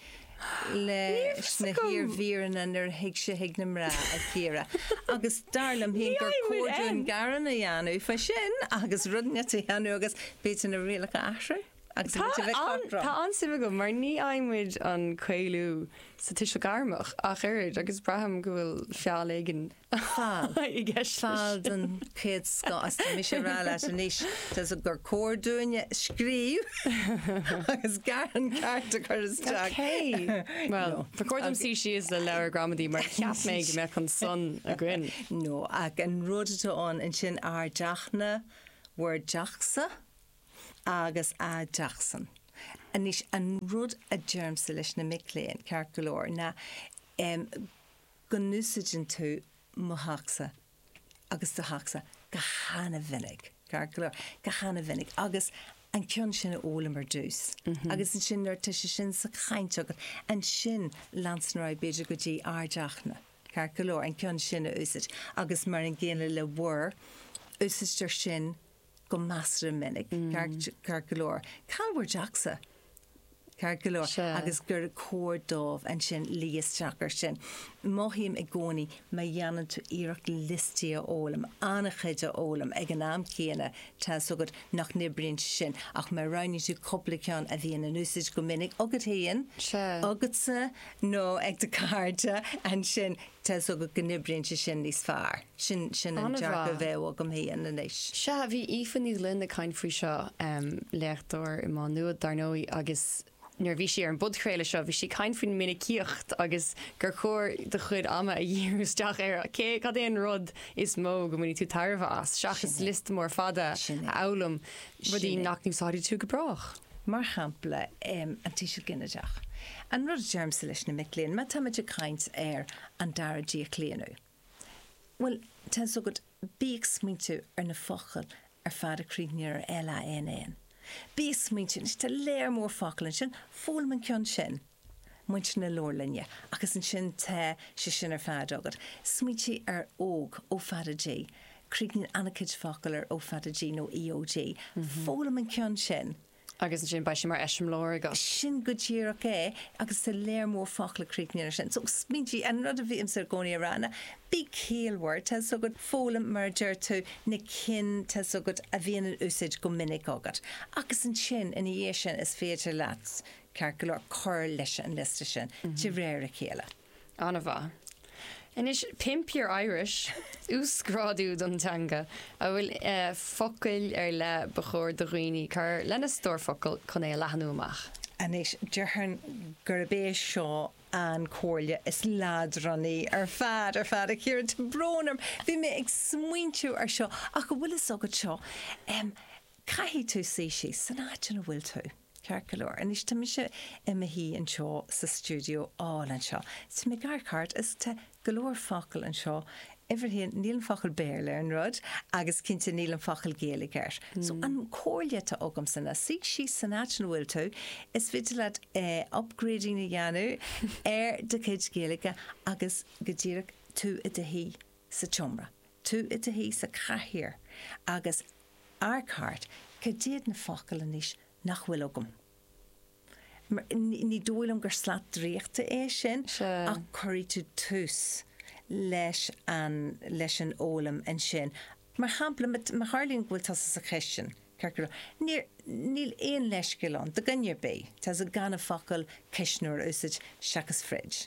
leis na Éasca! hiarmhíreanna nuair a thig sé chuig na mná, a Chiara. Agus dar liom féin gur cóir dúinn gearán a dhéanamh faoi sin agus rudaí eile a dhéanamh agus b'fhéidir na rialacha a athrú agus Tá muid a bheith an, tá cothrom. an-suim agam mar ní fhaigheann muid an caolú sa tuiseal gairmeach ach oiread agus braithim go bhfuil feall éigin atá i gceist leis. Feall den chéad scoth is tá mise ag rá leat anois tusa gur cóir dúinne scríobh agus gearán ceart a chur isteach. Ok. Bhuel, ba chóir dom suí síos le leabhar gramadaí mar cheap mé go mbeadh an san againn. No, ach an rud atá ann ansin ár dteachna, bhur dteachsa agus a dteachsan. Anois an rud a deirimse leis na mic léinn, ceart go leor, ná go n-úsáideann tú mo theachsa agus do theachsa go han-mhinic, ceart go leor, go han-mhinic, agus an ceann sin a fhoghlaim ar dtús agus ansin nuair atá sé sin sa chaint agat, ansin leanstan ar aghaidh b'fhéidir go dtí ár dteachna, ceart go leor, an ceann sin a úsáid agus mar an gcéanna le bhur, úsáidtear sin. go measartha minic, ceart go leor, cá bhfuil bhur dteachsa? ceart go leor, agus gur chóir dóibh ansin luí isteach air sin. Mothaím i gcónaí má dhéanann tú iarracht liostaí a fhoghlaim, an-chuid a fhoghlaim ag an am céanna, tá a fhios agat nach n-oibríonn sé sin, ach má roghnaíonn tú cúpla ceann a bhíonn in úsáid go minic agat féin, agatsa nó ag do chairde, ansin Tá's agat go n-oibríonn sé sin níos fearr. Sin, sin an dearcadh a bheadh agam féin anois. Sea, bhí Aoife Ní Ghloinn ag caint faoi seo, léachtóir i Má Nuad, dar ndóigh, agus nuair a bhí sí ar an bpodchraoladh seo, bhí sí ag caint faoi mhinicíocht agus gur chóir do chuid ama a dhíriú isteach ar cé, cad é an rud is mó go mbainfidh tú tairbhe as, seachas liosta mór fada a fhoghlaim. rudaí nach n-úsáidfidh tú go brách. mar shampla, an tuiseal ginideach, an rud a deirimse leis na mic léinn, má táimid ag caint ar an dara díochlaonadh, bhuel, tá fhios agat, bí ag smaointiú ar na focail ar fad a chríochnaíonn ar LANN. Bí ag smaointiú, anois tá lear mór focal ansin, foghlaim an ceann sin. muintir na leabharlainne agus ansin tá sé sin ar fad agat. Smaointigh ar ÓG, Ó Fada G. Críochnaíonn an-chuid focal ar Ó Fada G nó EOG. Foghlaim an ceann sin. Agus ansin beidh sé mar eiseamláir agat. Sin go díreach é agus tá lear mór focal a chríochnaíonn ar sin. So, smaointigh, an rud a bhímse i gcónaí a rá ná bí ciallmhar, tá's agat, foghlaim, mar a deir tú, na cinn, tá's agat, a bhíonn in úsáid go minic agat. Agus ansin, ina dhiaidh sin, is féidir leat. ceart go leor cur leis an liosta sin de réir a chéile. An-mhaith. Anois, Pimp Your Irish, uasghrádú don teanga an bhfuil focail ar leith ba chóir do dhaoine cur lena stór focal chun é a leathnú amach. Anois, déarfainn gurb é seo an chomhairle is leadránaí ar fad, ar fad, a Chiara. Tá brón orm, bhí mé ag smaointiú ar seo ach an bhfuil fhios agat seo, Caithfidh tú suí síos san áit ina bhfuil tú, ceart go leor. Anois, tá mise i mo shuí anseo sa stiúideo álainn seo. Tá mé ag amharc thart is tá go leor focal anseo, uimhir a haon, níl an focal Béarla ar an rud agam agus cinnte níl an focal Gaeilge air. So, an comhairle atá agamsa ná suí síos san áit ina bhfuil tú, is féidir leat upgrading a dhéanamh ar do chuid Gaeilge agus go díreach tú i do shuí sa tseomra, tú i do shuí sa chathaoir agus amharc thart, Cad iad na focail anois nach bhfuil agam? Ní dóigh liom gur slat draíochta é sin ach cuirfidh tú tús leis an leis an fhoghlaim ansin. Mar shampla, má tharlaíonn go bhfuil tusa sa chistin, ceart go leor, níor, níl aon leithscéal ann, do dhuine ar bith, gan an focal 'cuisneoir' a úsáid seachas 'fridge'.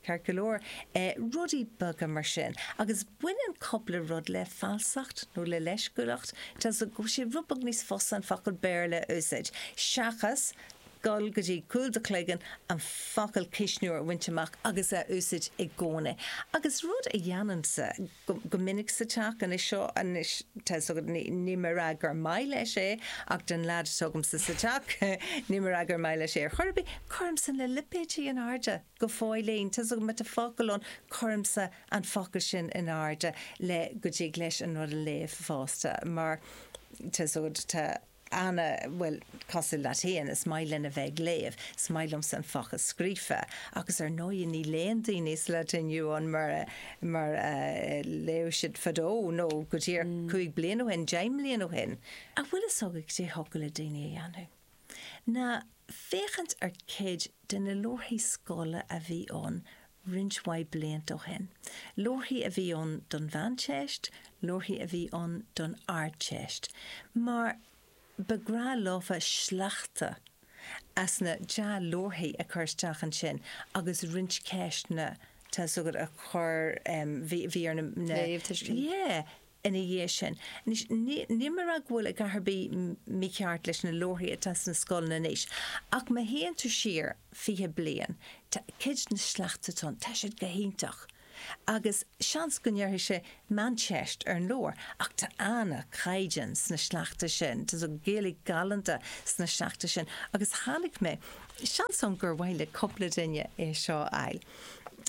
Ceart go leor, rudaí beaga mar sin. Agus baineann cupla rud le falsacht nó le leisciúileacht, tá sé rud beag níos fusa an focal Béarla a úsáid seachas dul go dtí cúl do chloigeann an focal cuisneoir a bhaint amach agus a úsáid i gcónaí. Agus rud a dhéanaimse. go minic sa teach anois seo anois tá fhios agat ní móide gur maith leis é ach don leaid atá agamsa sa teach ní móide gur maith leis é ar chor ar bith cuirimse na lipéidí in airde go fóillín tá fhios agat má tá focal ann cuirimse an focal sin in airde le go dtig leis an rud a léamh fosta mar tá fhios agat tá Anna, Bhuel, cosúil leat fhéin, is maith linn a bheith ag léamh, is maith liomsa an focal scríofa agus ar ndóigh ní léann daoine sa lá atá inniu ann mar, mar a léadh siad fadó nó go díreach cúig bliana ó shin, deich mbliana ó shin. An bhfuil a fhios agat cad é thiocfadh le daoine a dhéanamh ná féachaint ar cuid de na leabharthaí scoile a bhí ann roinnt mhaith blianta ó shin. Leabharthaí a bhí ann don Mheánteist, leabharthaí a bhí ann don Ardteist, mar ba bhreá leofa sleachta as na dea-leabharthaí a chur isteach ansin agus roinnt ceisteanna, tá's agat, a chur, bhí ar na, na, léamhthuiscint. yeah. ina dhiaidh sin. Anois, níl mé ag rá go bhfuil a dhath ar bith mícheart leis na leabharthaí atá sna scoileanna anois, ach má théann tú siar fiche bliain, tá cuid de na sleachta atá ann, tá siad go hiontach. Agus seans go ndéarfadh sé meánteist ar an leabhar, ach tá an-chaighdeán sna sleachta sin, tá Gaeilge galánta sna sleachta sin, agus chonaic mé, seans ann gur mhaith le cúpla duine é seo a fháil,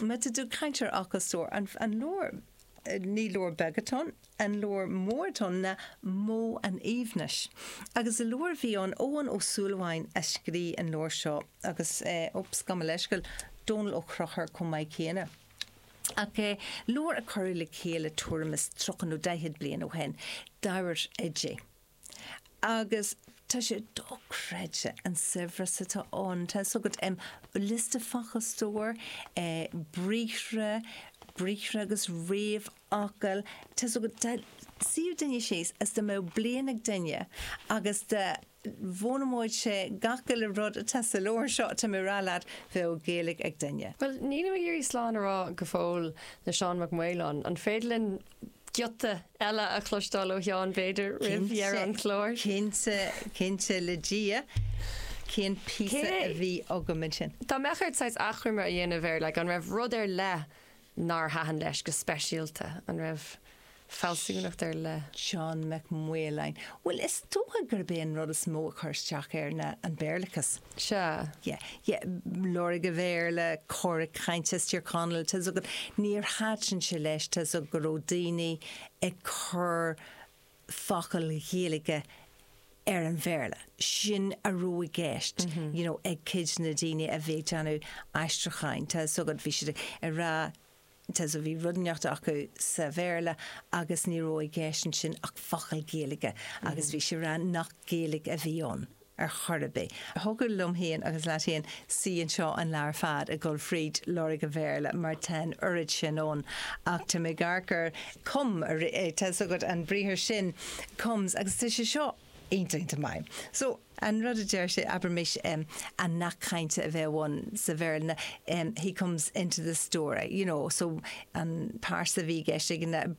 má tá tú ag caint ar fhocal stór, an leabhar. ní leabhar beag atá ann, An Leabhar Mór Donn nó Modh an Aoibhnis? Agus i leabhar a bhí ann, Eoghan Ó Súilleabháin a scríobh an leabhar seo agus, oops, gabh mo leithscéal, Dónall Ó Conchúir chomh maith céanna. Ach leabhar a cuireadh le chéile tuairim is tríocha nó daichead bliain ó shin, Diamhair Oidé. agus tá sé dochreidte an saibhreas atá ann. Tá a fhios agat, em, liosta focal stóir, eh, briathra, briathra agus réamhfhocail, tá a fhios agat, dá suíodh duine síos is dá mbeadh bliain ag duine agus dá bhfoghlaimeodh sé gach uile rud atá sa leabhar seo, tá mé ag rá leat, bheadh Gaeilge ag duine. Bhuel, nílim ag iarraidh slán a rá go fóill le Seán Mac Maoláin. An féidir linn giota eile a chloisteáil ó Sheán, b'fhéidir, roimh dheireadh an chláir. Cinnte, cinnte le Dia. Cén píosa a bhí agam ansin? Dá mbeadh ort saghas achoimre a dhéanamh air, like, an raibh rud ar leith nár thaitin leis go speisialta? An raibh fealsúnacht ar leith? Seán Mac Maoláin, Bhuel, is dócha gurb é an rud is mó a chuir isteach air ná an Béarlachas. sea. yeah, yeah, Lorg an Bhéarla, Cora Cainte as Tír Chonaill, tá's agat, níor thaitin sé leis, tá's agat, go raibh daoine ag cur focail Ghaeilge ar an Bhéarla. Sin a raibh i gceist, you know, ag cuid de na daoine a bhí ag déanamh aistriúcháin, tá's agat, bhí siad ag rá Sea, bhí rud éigineacht acu sa Bhéarla agus ní raibh i gceist ansin ach focal Gaeilge agus bhí siad ag rá nach Gaeilge a bhí ann ar chor ar bith. Thiocfadh liom féin agus leat féin suí anseo an lá ar fad ag dul fríd Lorg an Bhéarla mar tá an oiread sin ann ach tá mé ag amharc ar come, tá 'fhios agat an briathar sin comes agus tá sé seo iontach, iontach maith. An rud a deir sé, abraimis, an nath cainte a bheadh ann sa Bhéarla, He comes into the story, you know, so an pearsa a bhí i gceist ag an,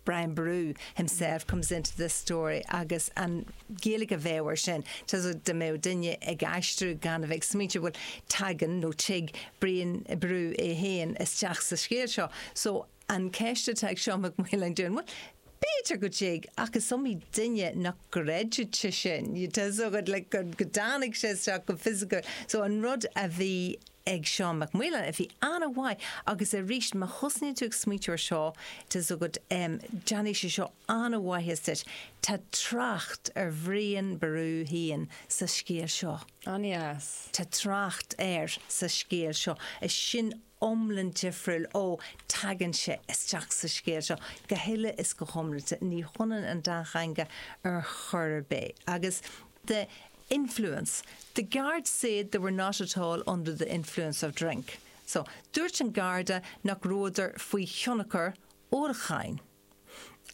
Brian Boru, himself comes into the story agus an Ghaeilge a bheadh air sin, tá 's agat, dá mbeadh duine ag aistriú gan a bheith ag smaointeamh, bhuel, tagann nó tig Brian Boru é féin isteach sa scéal seo. So, An cheist atá ag Seán Mac Maoláin dúinn, bhuel, b'fhéidir go dtig, ach is iomaí duine nach gcreidfeadh sé sin, tá 's agat, like, go dtáinig sé isteach go fisiciúil. So an rud a bhí ag Seán Mac Maoláin a bhí an-mhaith, agus aríst, má thosnaíonn tú ag smaointiú ar seo, tá 's agat, em, déanfaidh sé seo an-mhaitheas duit, tá trácht ar Bhrian Ború fhéin sa scéal seo. An-deas. Tá trácht air sa scéal seo. Is sin. iomlán difriúil ó teagann sé isteach sa scéal seo, go huile is go hiomlán. Ní hionann an dá theanga ar chor ar bith agus under the influence, The guard said they were not at all under the influence of drink. So, dúirt an Garda nach rabhadar faoi thionchar ólacháin.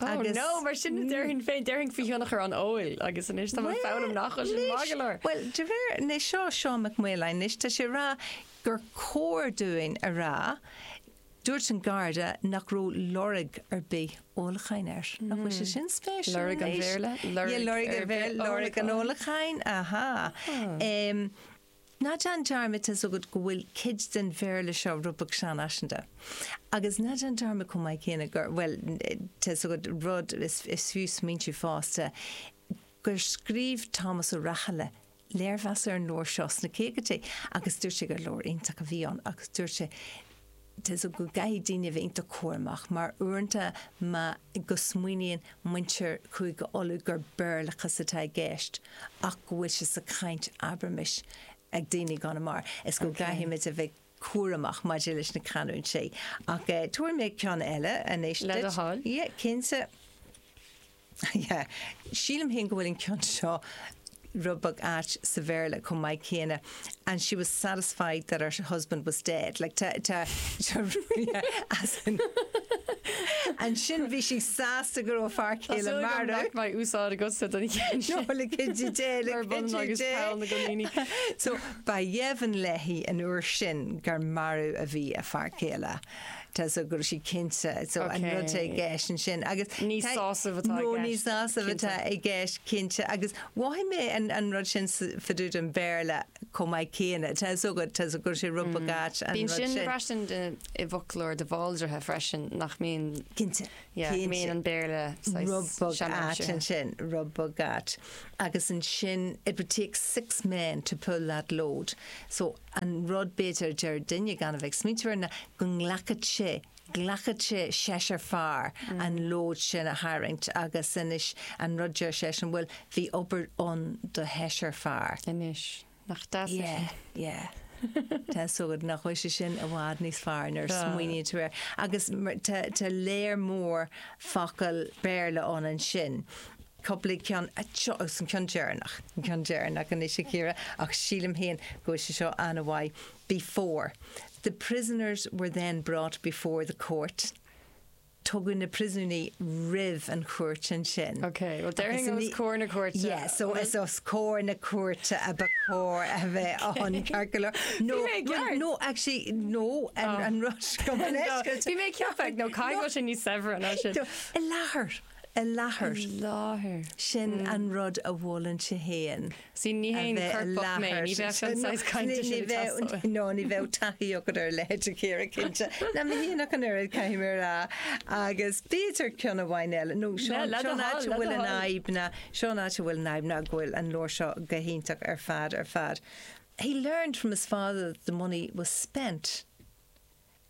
Agus... Oh no, mar sin a déarfainn féin, déarfainn faoi thionchar an óil agus anois tá mé ag foghlaim nach bhfuil sin maith go leor. Bhuel, de réir, anois seo Seán Mac Maoláin, anois tá sé ag rá gur cóir dúinn a rá, dúirt an Garda nach raibh lorg ar bith ólacháin air. Nach bhfuil sé sin spéisiúil anois? Lorg an Bhéarla, lorg ar bith ólacháin. Lorg an ólacháin, ahá. Ná déan dearmad, tá 's agat go bhfuil cuid den Bhéarla seo rud beag seanfhaiseanta. Agus ná déan dearmad chomh maith céanna gur, bhuel, tá 's agat rud is fiú smaointiú fosta, gur scríobh Tomás Ó Rathaille léirmheas ar an leabhar seo sna caogaidí agus dúirt sé gur leabhar iontach a bhí ann agus dúirt sé, tá 's agat go gcaithfidh daoine a bheith iontach cúramach mar uaireanta má go smaoiníonn muintir Chúige Uladh gur Béarlachas atá i gceist ach go bhfuil sé sa chaint, abraimis, ag daoine i gConamara is go gcaithfidh muid a bheith cúramach maidir leis na canúintí. Ach tabharfaidh mé ceann eile anois duit. Le do thoil. Yeah, cinnte. Yeah. Sílim féin go bhfuil an ceann seo rud beag ait sa Bhéarla chomh maith céanna, an she was satisfied that her husband was dead. Like tá, tá, tá yeah, as in ansin bhí sí sásta go raibh a fear céile marbh. Tá súil agam nach mbeidh úsáid agatsa den cheann sin. No, like is she dead, like is she dead. Mar bhun agus peann na gcoiníní. So ba dheimhin léi an uair sin gur marbh a bhí a fear céile. Tá, so go raibh sí cinnte, so an rud atá i gceist ansin agus. Ní sásamh atá i gceist. No, ní sásamh atá i gceist, cinnte, agus mhothaigh mé an rud sin fá dtaobh den Bhéarla chomh maith céanna. Tá 's agat, go raibh sé rud beag ait an rud sin. Bíonn sin freisin i bhfoclóir de Bhaldraithe freisin nach mbíonn. Cinnte, cinnte. Go mbíonn an Béarla saghas seanfhaiseanta. Rud beag ait ansin, rud beag ait. Agus ansin, it would take six men to pull that load, so an rud, b'fhéidir, a deir duine gan a bheith ag smaointiú air ná go nglacfadh sé, ghlacfadh sé seisear fear an lód sin a tharraingt agus anois an rud, deir seisean, bhuel, bhí obair ann do sheisear fear. Anois, nach deas é sin? Yeah, yeah. Tá 's agat, nach bhfuil sé sin i bhfad níos fearr nuair a smaoiníonn tú air. Agus tá lear mór focal Béarla ann ansin. Cúpla ceann anseo agus an ceann deireanach. An ceann deireanach anois, a Chiara, ach sílim féin go bhfuil sé seo an-mhaith. Before, the prisoners were then brought before the court, tugadh na príosúnaigh roimh an chúirt ansin. Ok, well déarfainn os comhair na cúirte. Yes, so is os comhair na cúirte a ba chóir a bheith ann, ceart go leor. No, Bhí mé ag ceapadh. no, actually, no, an rud seo go mba leisce. Bhí mé ag ceapadh, nó caithfidh go bhfuil sé níos saibhre ná sin. I láthair. i láthair. I láthair. Sin an rud a mholann sé féin. Sea, ní haon choirpeach mé, ní bheadh an saghas cainte sin ag teastáil uaim. No, ní bheadh taithí agat ar a leithéid, a Chiara, cinnte. Ná mé féin ach an oiread, caithfidh mé a rá. Agus b'fhéidir ceann amháin eile, nó seo an áit a bhfuil an fhadhb ná, seo an áit a bhfuil an fhadhb ná go bhfuil an leabhar seo go hiontach ar fad ar fad. He learned from his father that the money was spent.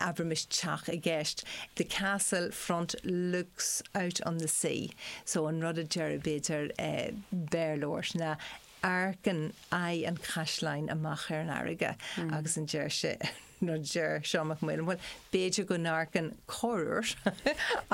abraimis teach i gceist, the castle front looks out on the sea so an rud a déarfadh b'fhéidir Béarlóir ná amharcann aghaidh an chaisleáin amach ar an fharraige agus an deir sé an rud a deir Seán Mac Maoláin bhuel b'fhéidir go n-amharcann corruair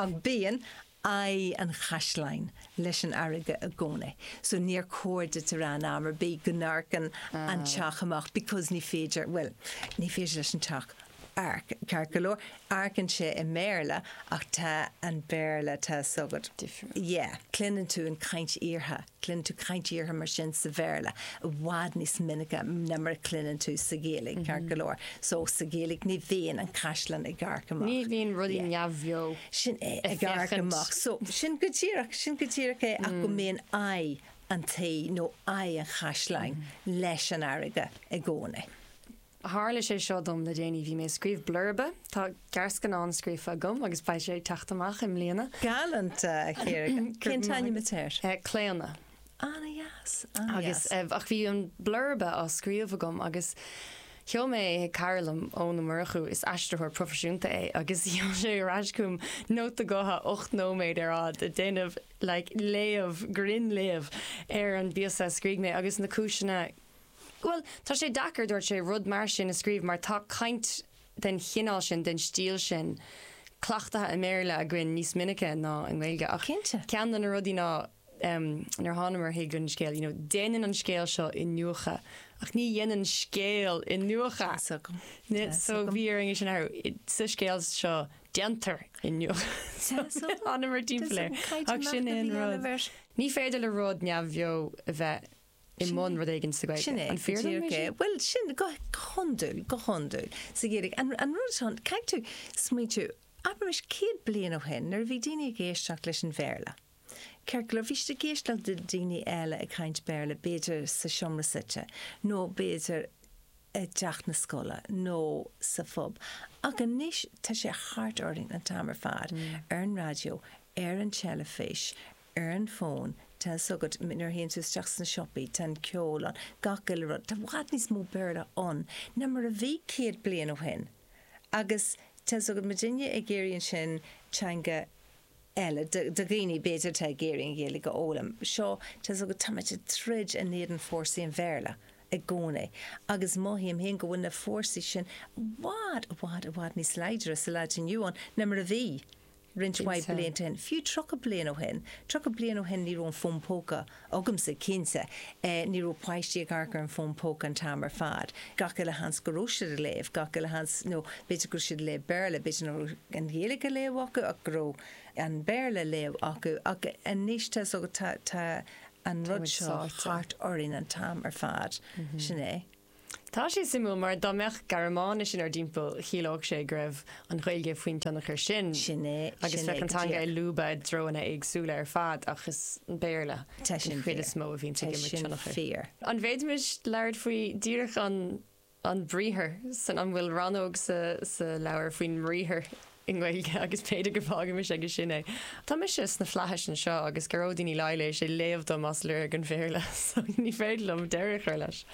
ach bíonn aghaidh an chaisleáin leis an fharraige i gcónaí. So níor chóir duit a rá in am ar bith go n-amharcann an teach amach because ní féidir, bhuel, ní féidir leis an teach amharc, ceart go leor, amharcann sé i mBéarla ach tá an Béarla, tá 's agat, yeah, cluineann tú an chaint fhíortha. Cluineann tú caint fhíortha mar sin sa Bhéarla i bhfad níos minice ná mar a chluineann tú sa Ghaeilge, ceart go leor. So, sa Ghaeilge ní bhíonn an caisleán ag amharc amach. Ní bhíonn rudaí neamhbheo ag amharc amach. Sin é, ag amharc amach. So, sin go díreach, sin go díreach é ach go mbíonn aghaidh an tí nó aghaidh an chaisleáin leis an fharraige i gcónaí. Tharla sé seo dom le déanaí, bhí mé ag scríobh blurba, tá gearrscannán scríofa agam agus beidh sé ag teacht amach i mbliana. Galánta, a Chiara. Cén t-ainm atá air? Claonadh. Ana dheas, ana dheas. Agus eh, ach bhí an blurba á scríobh agam agus sheol mé é chuig cara liom, Eoin Ó Murchú, is aistritheoir proifisiúnta é, agus sheol sé ar ais chugam nóta gutha ocht nóiméad ar fhad ag déanamh like léamh, grinnléamh ar an bpíosa a scrígh mé agus na cúiseanna Bhuel, tá sé deacair, dúirt sé, rud mar sin a scríobh mar tá caint den chineál sin, den stíl sin, cleachtaithe i mBéarla againn níos minice ná i nGaeilge. Ach ceann de na rudaí ná, nuair a thánamar chuig an scéal, you know, déanann an scéal seo iniúchadh ach ní dhéanann scéal iniúchadh. So bhí orainn é sin a athrú. Sa scéal seo, déantar iniúchadh. So thánamar timpeall air. Ach sin é an rud. Ní féidir le rud neamhbheo a bheith i mbun rud éigin sa Ghaeilge. Sin é. An fíor dom é sin? Bhuel, sin, go hiondúil, go hiondúil. sa Ghaeilge. An rud atá ann, caithfidh tú smaointiú, abair anois, céad bliain ó shin, nuair a bhí daoine ag éisteacht leis an Bhéarla, ceart go leor, bhí siad ag éisteacht le daoine eile ag caint Béarla, b'fhéidir sa seomra suite, nó b'fhéidir i dteach na scoile, nó sa phub. Ach anois, tá sé thart orainn an t-am ar fad, ar an raidió, ar an teilifís, ar an bhfón, tá 's agat, nuair a théann tú isteach sna siopaí, tá an ceol ann, gach uile rud, tá i bhfad níos mó Béarla ann ná mar a bhí céad bliain ó shin agus tá 's agat, má tá duine ag iarraidh ansin teanga eile, do dhaoine, b'fhéidir, atá ag iarraidh an Ghaeilge a fhoghlaim, seo, tá 's agat, táimid ag troid in éadan fórsaí an Bhéarla i gcónaí agus mothaím féin go bhfuil na fórsaí sin i bhfad, i bhfad, i bhfad níos láidre sa lá atá inniu ann ná mar a bhí. roinnt mhaith blianta ó shin, fiú tríocha bliain ó shin, tríocha bliain ó shin ní raibh aon fhón póca agamsa, cinnte ní raibh páistí ag amharc ar an bhfón póca an t-am ar fad, gach uile sheans go raibh siad ag léamh, gach uile sheans nó b'fhéidir go raibh siad ag léamh Béarla, b'fhéidir nach raibh an Ghaeilge á léamh acu ach go raibh an Béarla á léamh acu ach anois tá an rud seo thart orainn an t-am ar fad, sin é. Tá sé suimiúil mar dá mbeadh Gearmáinis inár dtimpeall, chiallódh sé go raibh an Ghaeilge faoin tionchar sin Sin é, agus bheadh an teanga ag lúbadh i dtreonna éagsúla ar fad ach is é an Béarla den chuid is mó a bhíonn ag imirt tionchair. Tá sin fíor. An bhféadfaimis labhairt faoi díreach an, an briathar san, an bhfuil rannóg sa, sa leabhar faoin mbriathar? i nGaeilge agus b'fhéidir go bhfágfaimis aige sin é. Tá mise sna Flaithis anseo agus Gearóidín Uí Laighléis ag léamh dom as Lorg an Bhéarla so ní féidir liom deireadh a chur leis.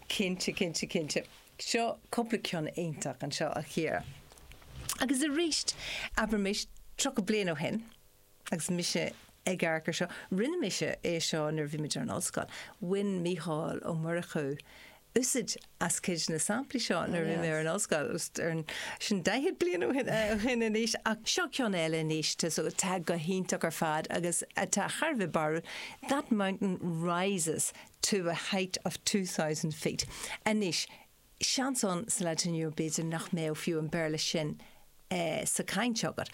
Cinnte, cinnte, cinnte. Seo cúpla ceann iontach anseo, a Chiara. Agus arís, abraimis, 30 bliain ó shin, agus mise ag amharc air seo, rinne mise é seo nuair a bhí muid ar an ollscoil, bhain Mícheál Ó Murchú úsaid as cuid de na samplaí seo nuair a bhí mé ar an ollscoil, sin daichead bliain ó shin anois, ach seo ceann eile anois atá go hiontach ar fad agus atá thar a bheith barrúil, That mountain rises to a height of two thousand feet. Anois, seans ann sa lá atá inniu b'fhéidir nach mbeadh fiú an Béarla sin sa chaint agat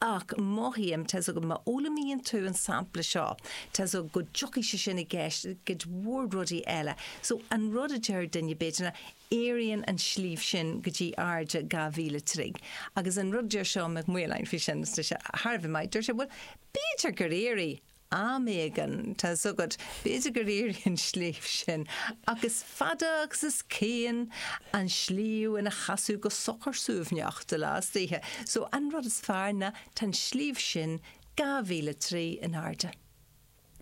ach mothaím tá's agat má fhoghlaimíonn tú an sampla seo tá's agat go dtiocfaidh sé sin i gceist i gcuid mhór rudaí eile. So an rud a deir duine b'fhéidir ná éiríonn an sliabh sin go dtí airde dhá mhíle troigh agus an rud a deir Seán Mac Maoláin faoi sin is tá sé thar a bheith maith, deir sé bhuel b'fhéidir gur éirigh Am éigin, tá's agat, b'fhéidir gur éirigh an sliabh sin, ach is fada agus is cian an sliabh ina sheasamh go socair suaimhneach de lá is d'oíche. So, an rud is fearr ná tá an sliabh sin dhá mhíle troigh in airde.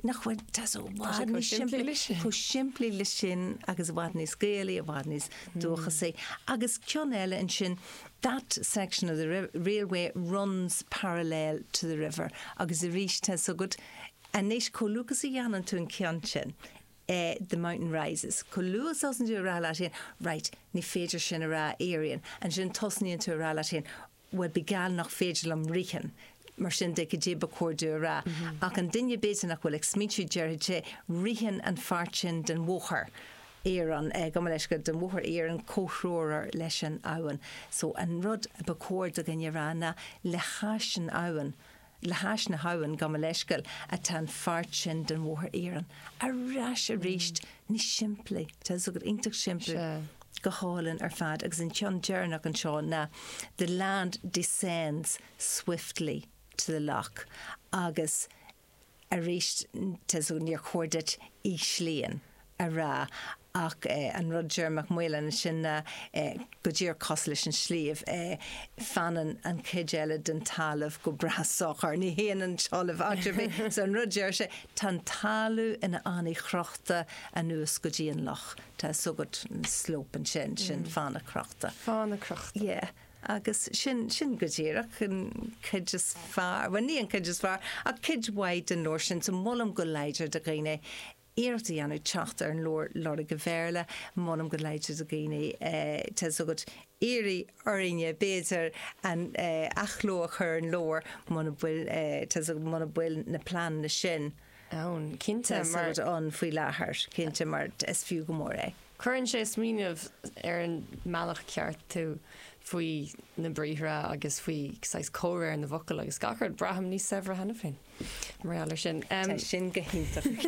Nach, tá's agat, chomh simplí leis sin agus i bhfad níos Gaelaí, i bhfad níos dúchasaí. Agus ceann eile ansin, that section of the railway runs parallel to the river agus arís tá's agat anois chomh luath agus a dhéanann tú an ceann sin eh the mountain rises chomh luath is a thosaíonn tú a rá leat féin right ní féidir sin a rá éiríonn ansin tosnaíonn tú a rá leat féin bhuel bíodh geall nach féidir liom ritheann mar sin de cad é ba chóir domh a rá ach an duine b'fhéidir nach bhfuil ag smaointiú déarfadh sé ritheann an pháirt sin den bhóthar iarainn, gabh mo leithscéal, den Bhóthar Iarainn, comhthreomhar leis an abhainn. So an rud ba chóir do dhuine a rá ná le hais an abhainn, le hais na habhann, gabh mo leithscéal, atá an pháirt sin den Bhóthar Iarainn. Ar ais arís, níos simplí, tá's agat iontach simplí, go hálainn ar fad agus an ceann deireanach anseo ná the land descends swiftly to the lough agus, arís tá's agat níor chóir duit 'íslíonn' a rá ach an rud deir Mac Maoláin ansin ná go díreach cosúil leis an sliabh, fanann an chuid eile den talamh go breá socair, ní théann an talamh áit ar bith. So an rud deir sé, tá an talamh ina fhánaidh chrochta anuas go dtí an loch, tá's agat 'slope' ansin, sin fána crochta. Fána crochta. Yeah. Agus sin, sin go díreach an cuid is fearr, bhuel ní an cuid is fearr, ach cuid mhaith den leabhar sin. So molaim go láidir do dhaoine iarracht a dhéanamh teacht ar an leabhar, Lorg an Bhéarla. Molaim go láidir do dhaoine, tá a fhios agat, iarraidh orainne, b'fhéidir, an athchló a chur ar an leabhar muna bhfuil, tá a fhios agat, muna bhfuil na pleananna sin. ann, cinnte, mar tá siad ann faoi láthair, cinnte, mar is fiú go mór é. Cuireann sé ag smaoineamh ar an mbealach ceart tú faoi na briathra agus faoi saghas comhréir na bhfocal agus gach rud. Braithim níos saibhre cheana féin mar gheall air sin. Tá sin go hiontach.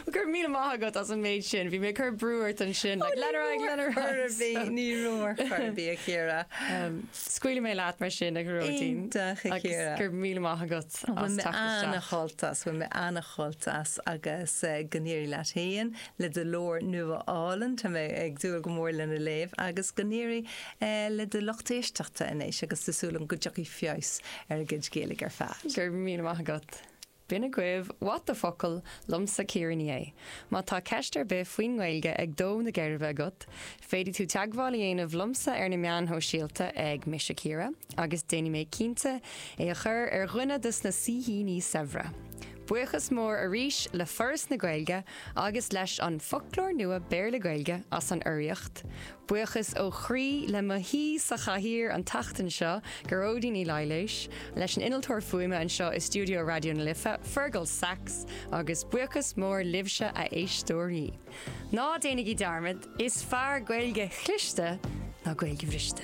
Go raibh míle maith agat as an méid sin. Bhí mé ag cur brú ort ansin. Like, lean ar aghaidh, lean ar aghaidh. Ní raibh ná bí, ní raibh ar chor ar bith, a Chiara. Scaoilfidh mé leat mar sin, a Ghearóidín. Iontach, a Chiara. Agus go raibh míle maith agat as teacht isteach. Bhí mé ana-shásta, bhí mé ana-shásta as agus go n-éirí leat fhéin le do leabhar nua álainn, tá mé ag dúil go mór lena léamh agus go n-éirí le do lucht éisteachta anois agus tá súil agam go dtiocfaidh feabhas ar a gcuid Gaeilge ar fad. Go raibh míle maith agat. B'in agaibh What the focal liomsa Ciara Ní É. Má tá ceist ar bith faoin nGaeilge ag dó na geirbe agat, féadfaidh tú teagmháil a dhéanamh liomsa ar na meáin shóisialta ag Mise Ciara agus déanfaidh mé cinnte í a chur ar dhuine dos na saoithíní saibhre. Buíochas mór arís le Foras na Gaeilge agus leis An Foclóir Nua Béarla-Gaeilge as an urraíocht. Buíochas ó chroí le mo haoi sa chathaoir an tseachtain seo, Gearóidín Uí Laighléis, leis an innealtóir fuaime anseo i stiúideo Raidió na Life, Fergal Sachs, agus buíochas mór libhse a éisteoirí. Ná déanaigí dearmad, is fearr Gaeilge chliste ná Gaeilge bhriste!